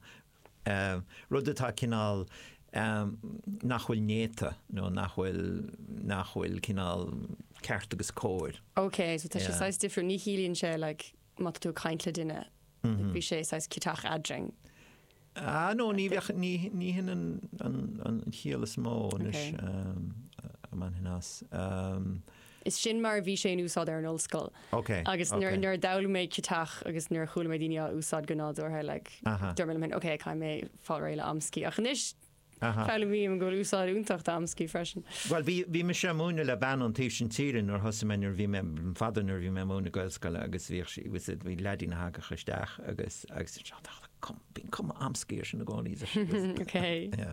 rud atá cineál nach bhfuil néata nó nach bhfuil nach bhfuil cineál ceart agus cóir. OK, so tá sé saghas difriúil, ní chiallaíonn sé like má tá tú ag caint le duine, bhí sé saghas ciotach eadrainn. Ah no, ní bheadh, ní, ní hin an, an, an chiall is mó anois, a bhainfinn as. Is sin mar a bhí sé in úsáid ar an ollscoil. Ok, Agus ok. nuair a d'fhoghlaim mé ciotach agus nuair a chuala mé daoine á úsáid go nádúrtha, like, Aha. dúirt mé liom féin, ok, caithfidh mé fáil réidh le amscaí. Ach anois, Aha. foghlaimím go bhfuil úsáid fhiúntach d'amscaí freisin. Bhuel, bhí, bhí mise ag múineadh le bean ón taobh sin tíre nuair a thosaigh mé, nuair a bhí mé, an fada nuair a bhí mé ag múineadh i nGaelscoil agus bhíodh sí, was it, bhí leaidín a thagadh isteach agus, agus, bíonn cuma amscaí air i gcónaí, is ars' sí, Ok. yeah.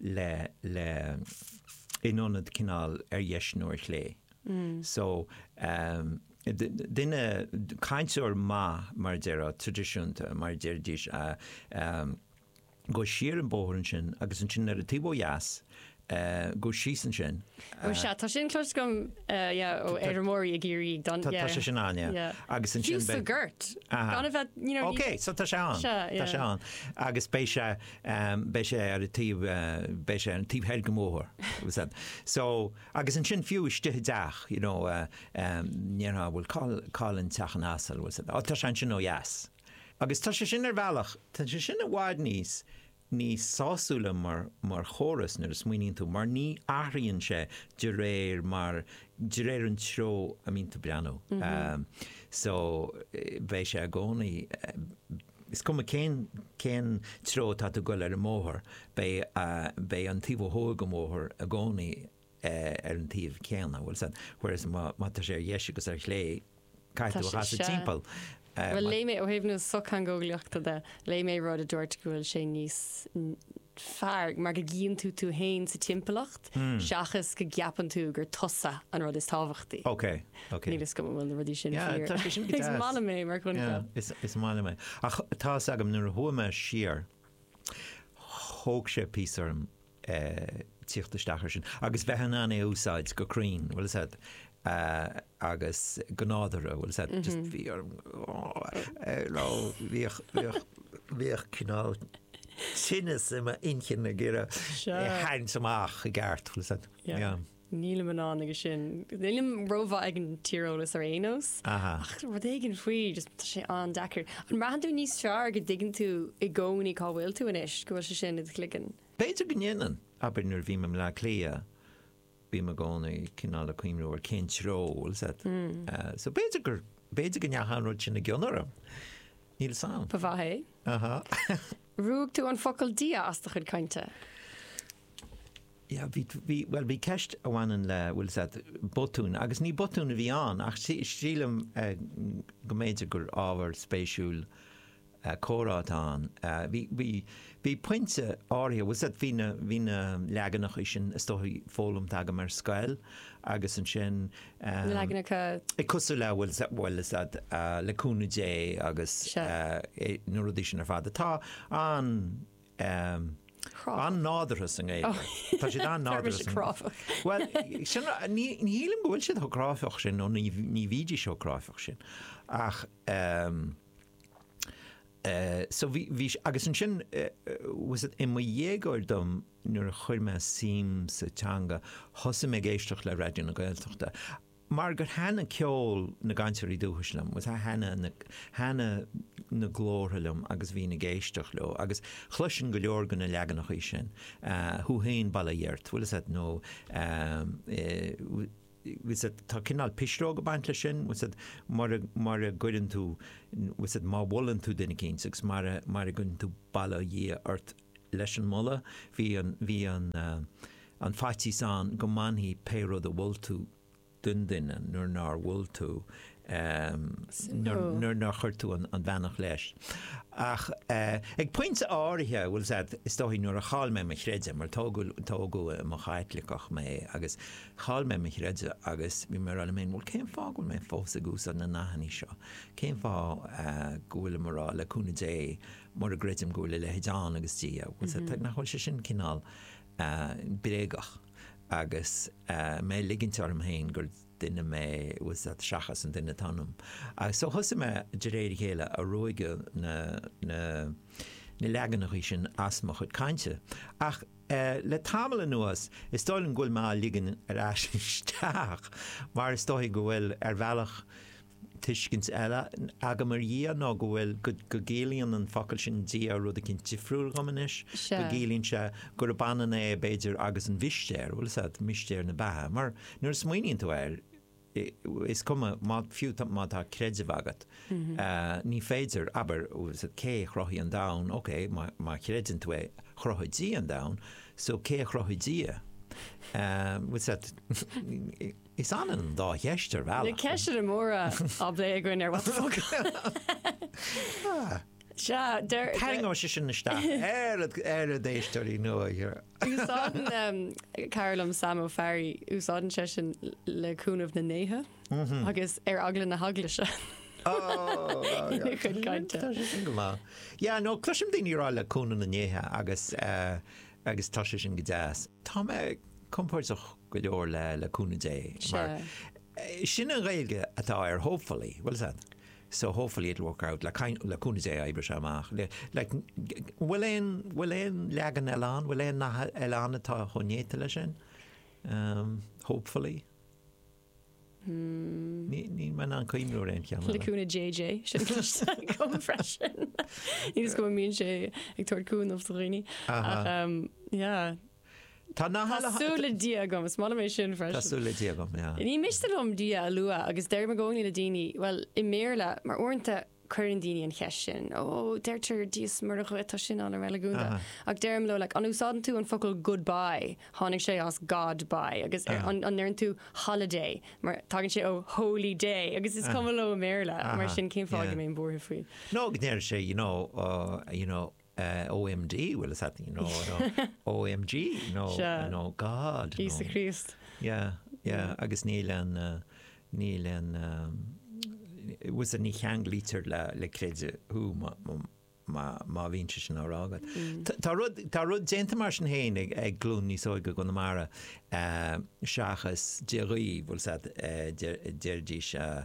le le in ionad cineál ar dheis nó ar chlé. So duine, cainteoir maith, mar a deir á, traidisiúnta, mar a déarfaidís, gabh siar an bóthar ansin agus ansin nuair a taobh ó dheas, gabh síos ansin. Ó sea, tá sin cloiste agam, yeah, ó fheirmeoirí i gCiarraí ag dul, yeah. Tá sé sin ann, yeah. Agus ansin beidh. Síos sa ghort, gan a bheith, you know. Ok, so tá sé ann, tá sé ann. Agus beidh sé. beidh sé ar an taobh, beidh sé ar an taobh thoir den bhóthar, agus an, so, agus ansin fiú istigh i dteach, you know, ndéarfá, bhuel, cá, cá bhfuil an teach an asail, bhuel, so, á, tá sé ansin ó dheas. Agus tá sé sin ar bhealach, tá sé sin i bhfad níos, níos sásúla mar, mar chóras nuair a smaoiníonn tú, mar ní athraíonn sé de réir mar, de réir an treo a mbíonn tú ag breathnú. So, beidh sé i gcónaí. Is cuma cén cén treo atá tú ag goil ar an mbóthar, beidh beidh an taobh ó thuaidh den bhóthar i gcónaí ar an taobh céanna, bhfuil fhios agat, whereas má má tá sé ar dheis agus ar chlé, caithfidh tú é a chasadh timpeall. Bhuel, léigh mé, ó thaobh na sochtheangeolaíochta de, léigh mé rud a dúirt go bhfuil sé níos fearr mar go gcíonn tú tú féin sa timpeallacht seachas go gceapann tú gur tusa an rud is tábhachtaí. Níl fhios agam an bhfuil na rudaí sin fíor ach is maith liom é mar choincheap. Is maith liom é. Ach tá fhios agam nuair a chuaigh mé siar thóg sé píosa orm tíocht isteach ar sin agus bheith in ann é a úsáid go cruinn, bhfuil fhios agat, agus go nádúrtha, bhfuil fhios agat, just bhí orm nó bhíodh cineál tinneas i m'inchinn ag iarraidh é a tharraingt amach i gceart, bhfuil fhios agat, yeah. Nílim in ann aige sin, nílim rómhaith ag an tíreolas ar aon nós, ach rud éigin faoi, just tá sé an-deacair. An mbraitheann tú níos fearr go dtuigeann tú i gcónaí cá bhfuil tú anois, go bhfuil sé sin i do chloigeann? B'fhéidir go ndéanann, abair nuair a bhím i mBleá Cliath, bím i gcónaí cineál ag cuimhniú ar cén treo, bhfuil fhios agat. So b'fhéidir gur, b'fhéidir go ndeachaigh an rud sin i gcion orm. Níl 'fhios a'm. Ba mhaith é. Ruaig tú an focal 'Dia' as do chuid cainte. Yeah, bhí, bhí, bhuel bhí ceist a bhaineann le, bhfuil fhios agat, botún, agus ní botún a bhí ann ach sí, sílim go mb'fhéidir gur ábhar spéisiúil comhrá atá ann. Bhí, bhí, bhí pointe áirithe, bhfuil fhios agat, bhí na, bhí na leaganacha sin is dóigh foghlamtha agam ar scoil agus ansin, na leaganacha cosúil le, bhuel, bhfuil fhios agat, le cúnamh Dé agus na rudaí sin ar fad atá an, an-nádúrtha sa nGaeilge. Tá siad an-chráifeach. Bhuel, sin, ní, ní shílim go bhfuil siad chomh cráifeach sin nó ní, ní bhídís chomh cráifeach sin ach, so bhí, bhí, agus ansin, bhfuil fhios agat, i mo dhéagóir dom, nuair a chuir mé suim sa teanga, thosaigh mé ag éisteacht le Raidió na Gaeltachta, mar gur thaitin ceol na gcainteoirí dúchais liom, bhfuil fhios agat, thaitin na, thaitin na glórtha liom agus bhínn ag éisteacht leo, agus chloisinn go leor de na leaganachaí sin, thú fhéin, bail ó Dhia ort, bhfuil fhios agat, nó, eh, tá cineál pisreog ag baint leis sin, mara gcuireann tú, má mholann tú duine eicínt agus mara gcuireann tú bail ó Dhia ort leis an moladh, bhí an faitíos ann go mbainfí pé rud a mhol tú den duine nuair nár mhol tú nuair nár chuir tú an bheannacht leis. Ach ag pointe áirithe, bhuel, is ea, is dóigh, nuair a chaill mé mo chreideamh, mar tógadh i mo Chaitliceach mé, agus chaill mé mo chreideamh agus bhí mé ag rá liom féin, bhuel, cén fáth go bhfuil mé fós ag úsáid na nathannaí seo? Cén fáth go bhfuilim ag rá, le cúnamh Dé, mura gcreidim go bhfuil a leithéid ann agus Dia, bhuel, sea, nach bhfuil sé sin cineál bréagach agus mé ag ligint orm féin gur. duine mé eile seachas an duine atá ionam agus so thosaigh mé de réir a chéile ag ruaigeadh na na na leaganachaí sin as mo chuid cainte ach le tamall anuas is dóigh liom go bhfuil mé á ligean ar ais isteach mar is dóigh go bhfuil ar bhealach Tuiscint eile agam ar Dhia nó go bhfuil, go gciallaíonn an focal sin Dia rud eicínt difriúil dhom anois, go gciallaíonn sé gurb ionann é b'fhéidir agus an mhistéir, bhuel is ea, mistéir na beatha. Mar nuair a smaoiníonn tú air, is cuma, má, fiú má tá creideamh agat, ní féidir, abair, cé a chruthaigh an domhan, ok, má chreideann tú é, chruthaigh Dia an domhan, so cé a chruthaigh Dia? Is ionann an dá cheist ar bhealach. Na ceisteanna móra á bplé againn ar What the Foclóir. Sea, deir. Tarraingeoidh sé sin isteach na héisteoirí nua. Úsáideann cara liom, Sam Ó Fearraigh, úsáideann seisean le cúnamh na ndéithe agus ar eagla na heaglaise. Sin go maith. Yeah, no, cloisim daoine ag rá le cúnamh na ndéithe agus eh, agus tá sé sin go deas. Tá mé compordach go leor le le cúnamh Dé mar sin an Ghaeilge atá ar hopefully bhuel is ea so hopefully it'll work out le kind le cúnamh Dé oibreoidh sé amach le like bhfuil aon bhfuil aon leagan eile ann bhfuil aon nath eile ann atá chomh néata leis sin? hopefully. Níl mé in ann cuimhniú ar aon cheann eile. Le cúnamh JJ, sin ceist agam freisin. Níl a fhios agam an mbíonn sé ag tabhairt cúnamh do dhaoine. Ach umm yeah. Tá na heile. Tá súil le Dia agam, is molaim é sin freisin. Tá súil le Dia agam, yeah. Ní miste liom Dia a lua agus deirim i gcónaí le daoine, bhuel, i mBéarla, mar uaireanta, Cuireann daoine an cheist sin, ó deirtear Dia is Muire dhuit, tá sin an-reiligiúnach. Ach deirim leo, like, an úsáideann tú an focal goodbye? Tháinig sé as God bye. Agus an ndeireann tú holiday? Mar tagann sé ó holy day. Agus is cuma leo i mBéarla. Mar sin, cén fáth a mbeinn buartha faoi? Nó go ndeireann sé, you know, you know, OMD, bhfuil a fhios agat, you know, you know, OMG, you know, Sea. you know, God, you Íosa know. Críost. Yeah, yeah, agus níl an, uh, níl an, um, it was a ní cheanglaítear le, le creideamh thú má, má, má, má bhíonn sé sin á rá agat. Tá- Tá rud, tá rud déanta mar sin féin ag, ag glún níos óige i gConamara, eh, seachas Dia dhaoibh, bhfuil a fhios agat, eh, deir, deiridís, eh,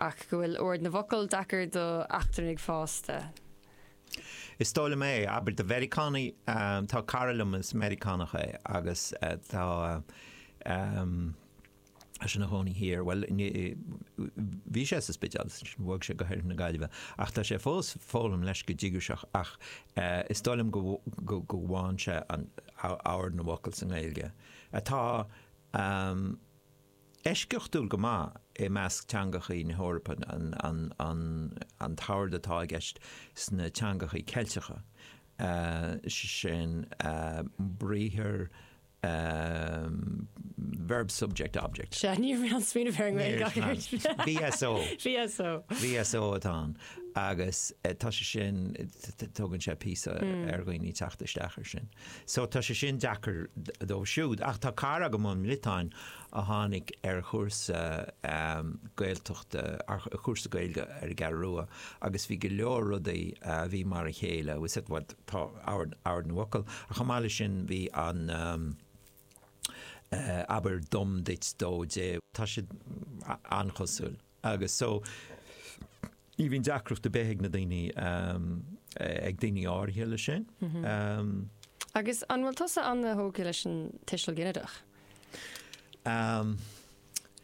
ach go bhfuil ord na bhfocal deacair d'eachtrannaigh fásta. Is dóigh liom é, abair do Mheiriceánaigh, tá cara liom is Meiriceánach é agus tá sé ina chónaí thiar, bhuel, bhí sé sa Spidéal is bhog sé go hOirthear na Gaillimhe, ach tá sé fós ag foghlaim leis go díograiseach, ach is dóigh liom go bhfaigheann sé ord na bhfocal sa nGaeilge, atá. Eisceachtúil go maith i measc teangachaí na hEorpa an t-ord atá i gceist sna teangachaí Ceilteacha, sin briathar Verb-Subject-Object. Sea, ní raibh mé á smaoineamh ar an nGaeilge ach ar sin. VSO. VSO. VSO atá ann agus tá sé sin, tógann sé píosa ar dhaoine teacht isteach ar sin. So tá sé sin deacair dóibh siúd. Ach tá cara agam ón mBriotáin a tháinig ar chúrsa Gaeltachta, ar chúrsa Gaeilge ar an gCeathrú Rua agus bhí go leor rudaí a bhí mar a chéile, bhfuil a fhios agat tá ord na bhfocal ach chomh maith leis sin bhí an abair dom duit dó dé, tá siad an-chosúil. Agus so, ní bhíonn deacracht ar bith ag na daoine, ag daoine áirithe leis sin. Agus an bhfuil tusa an-thógtha leis an tuiseal ginideach?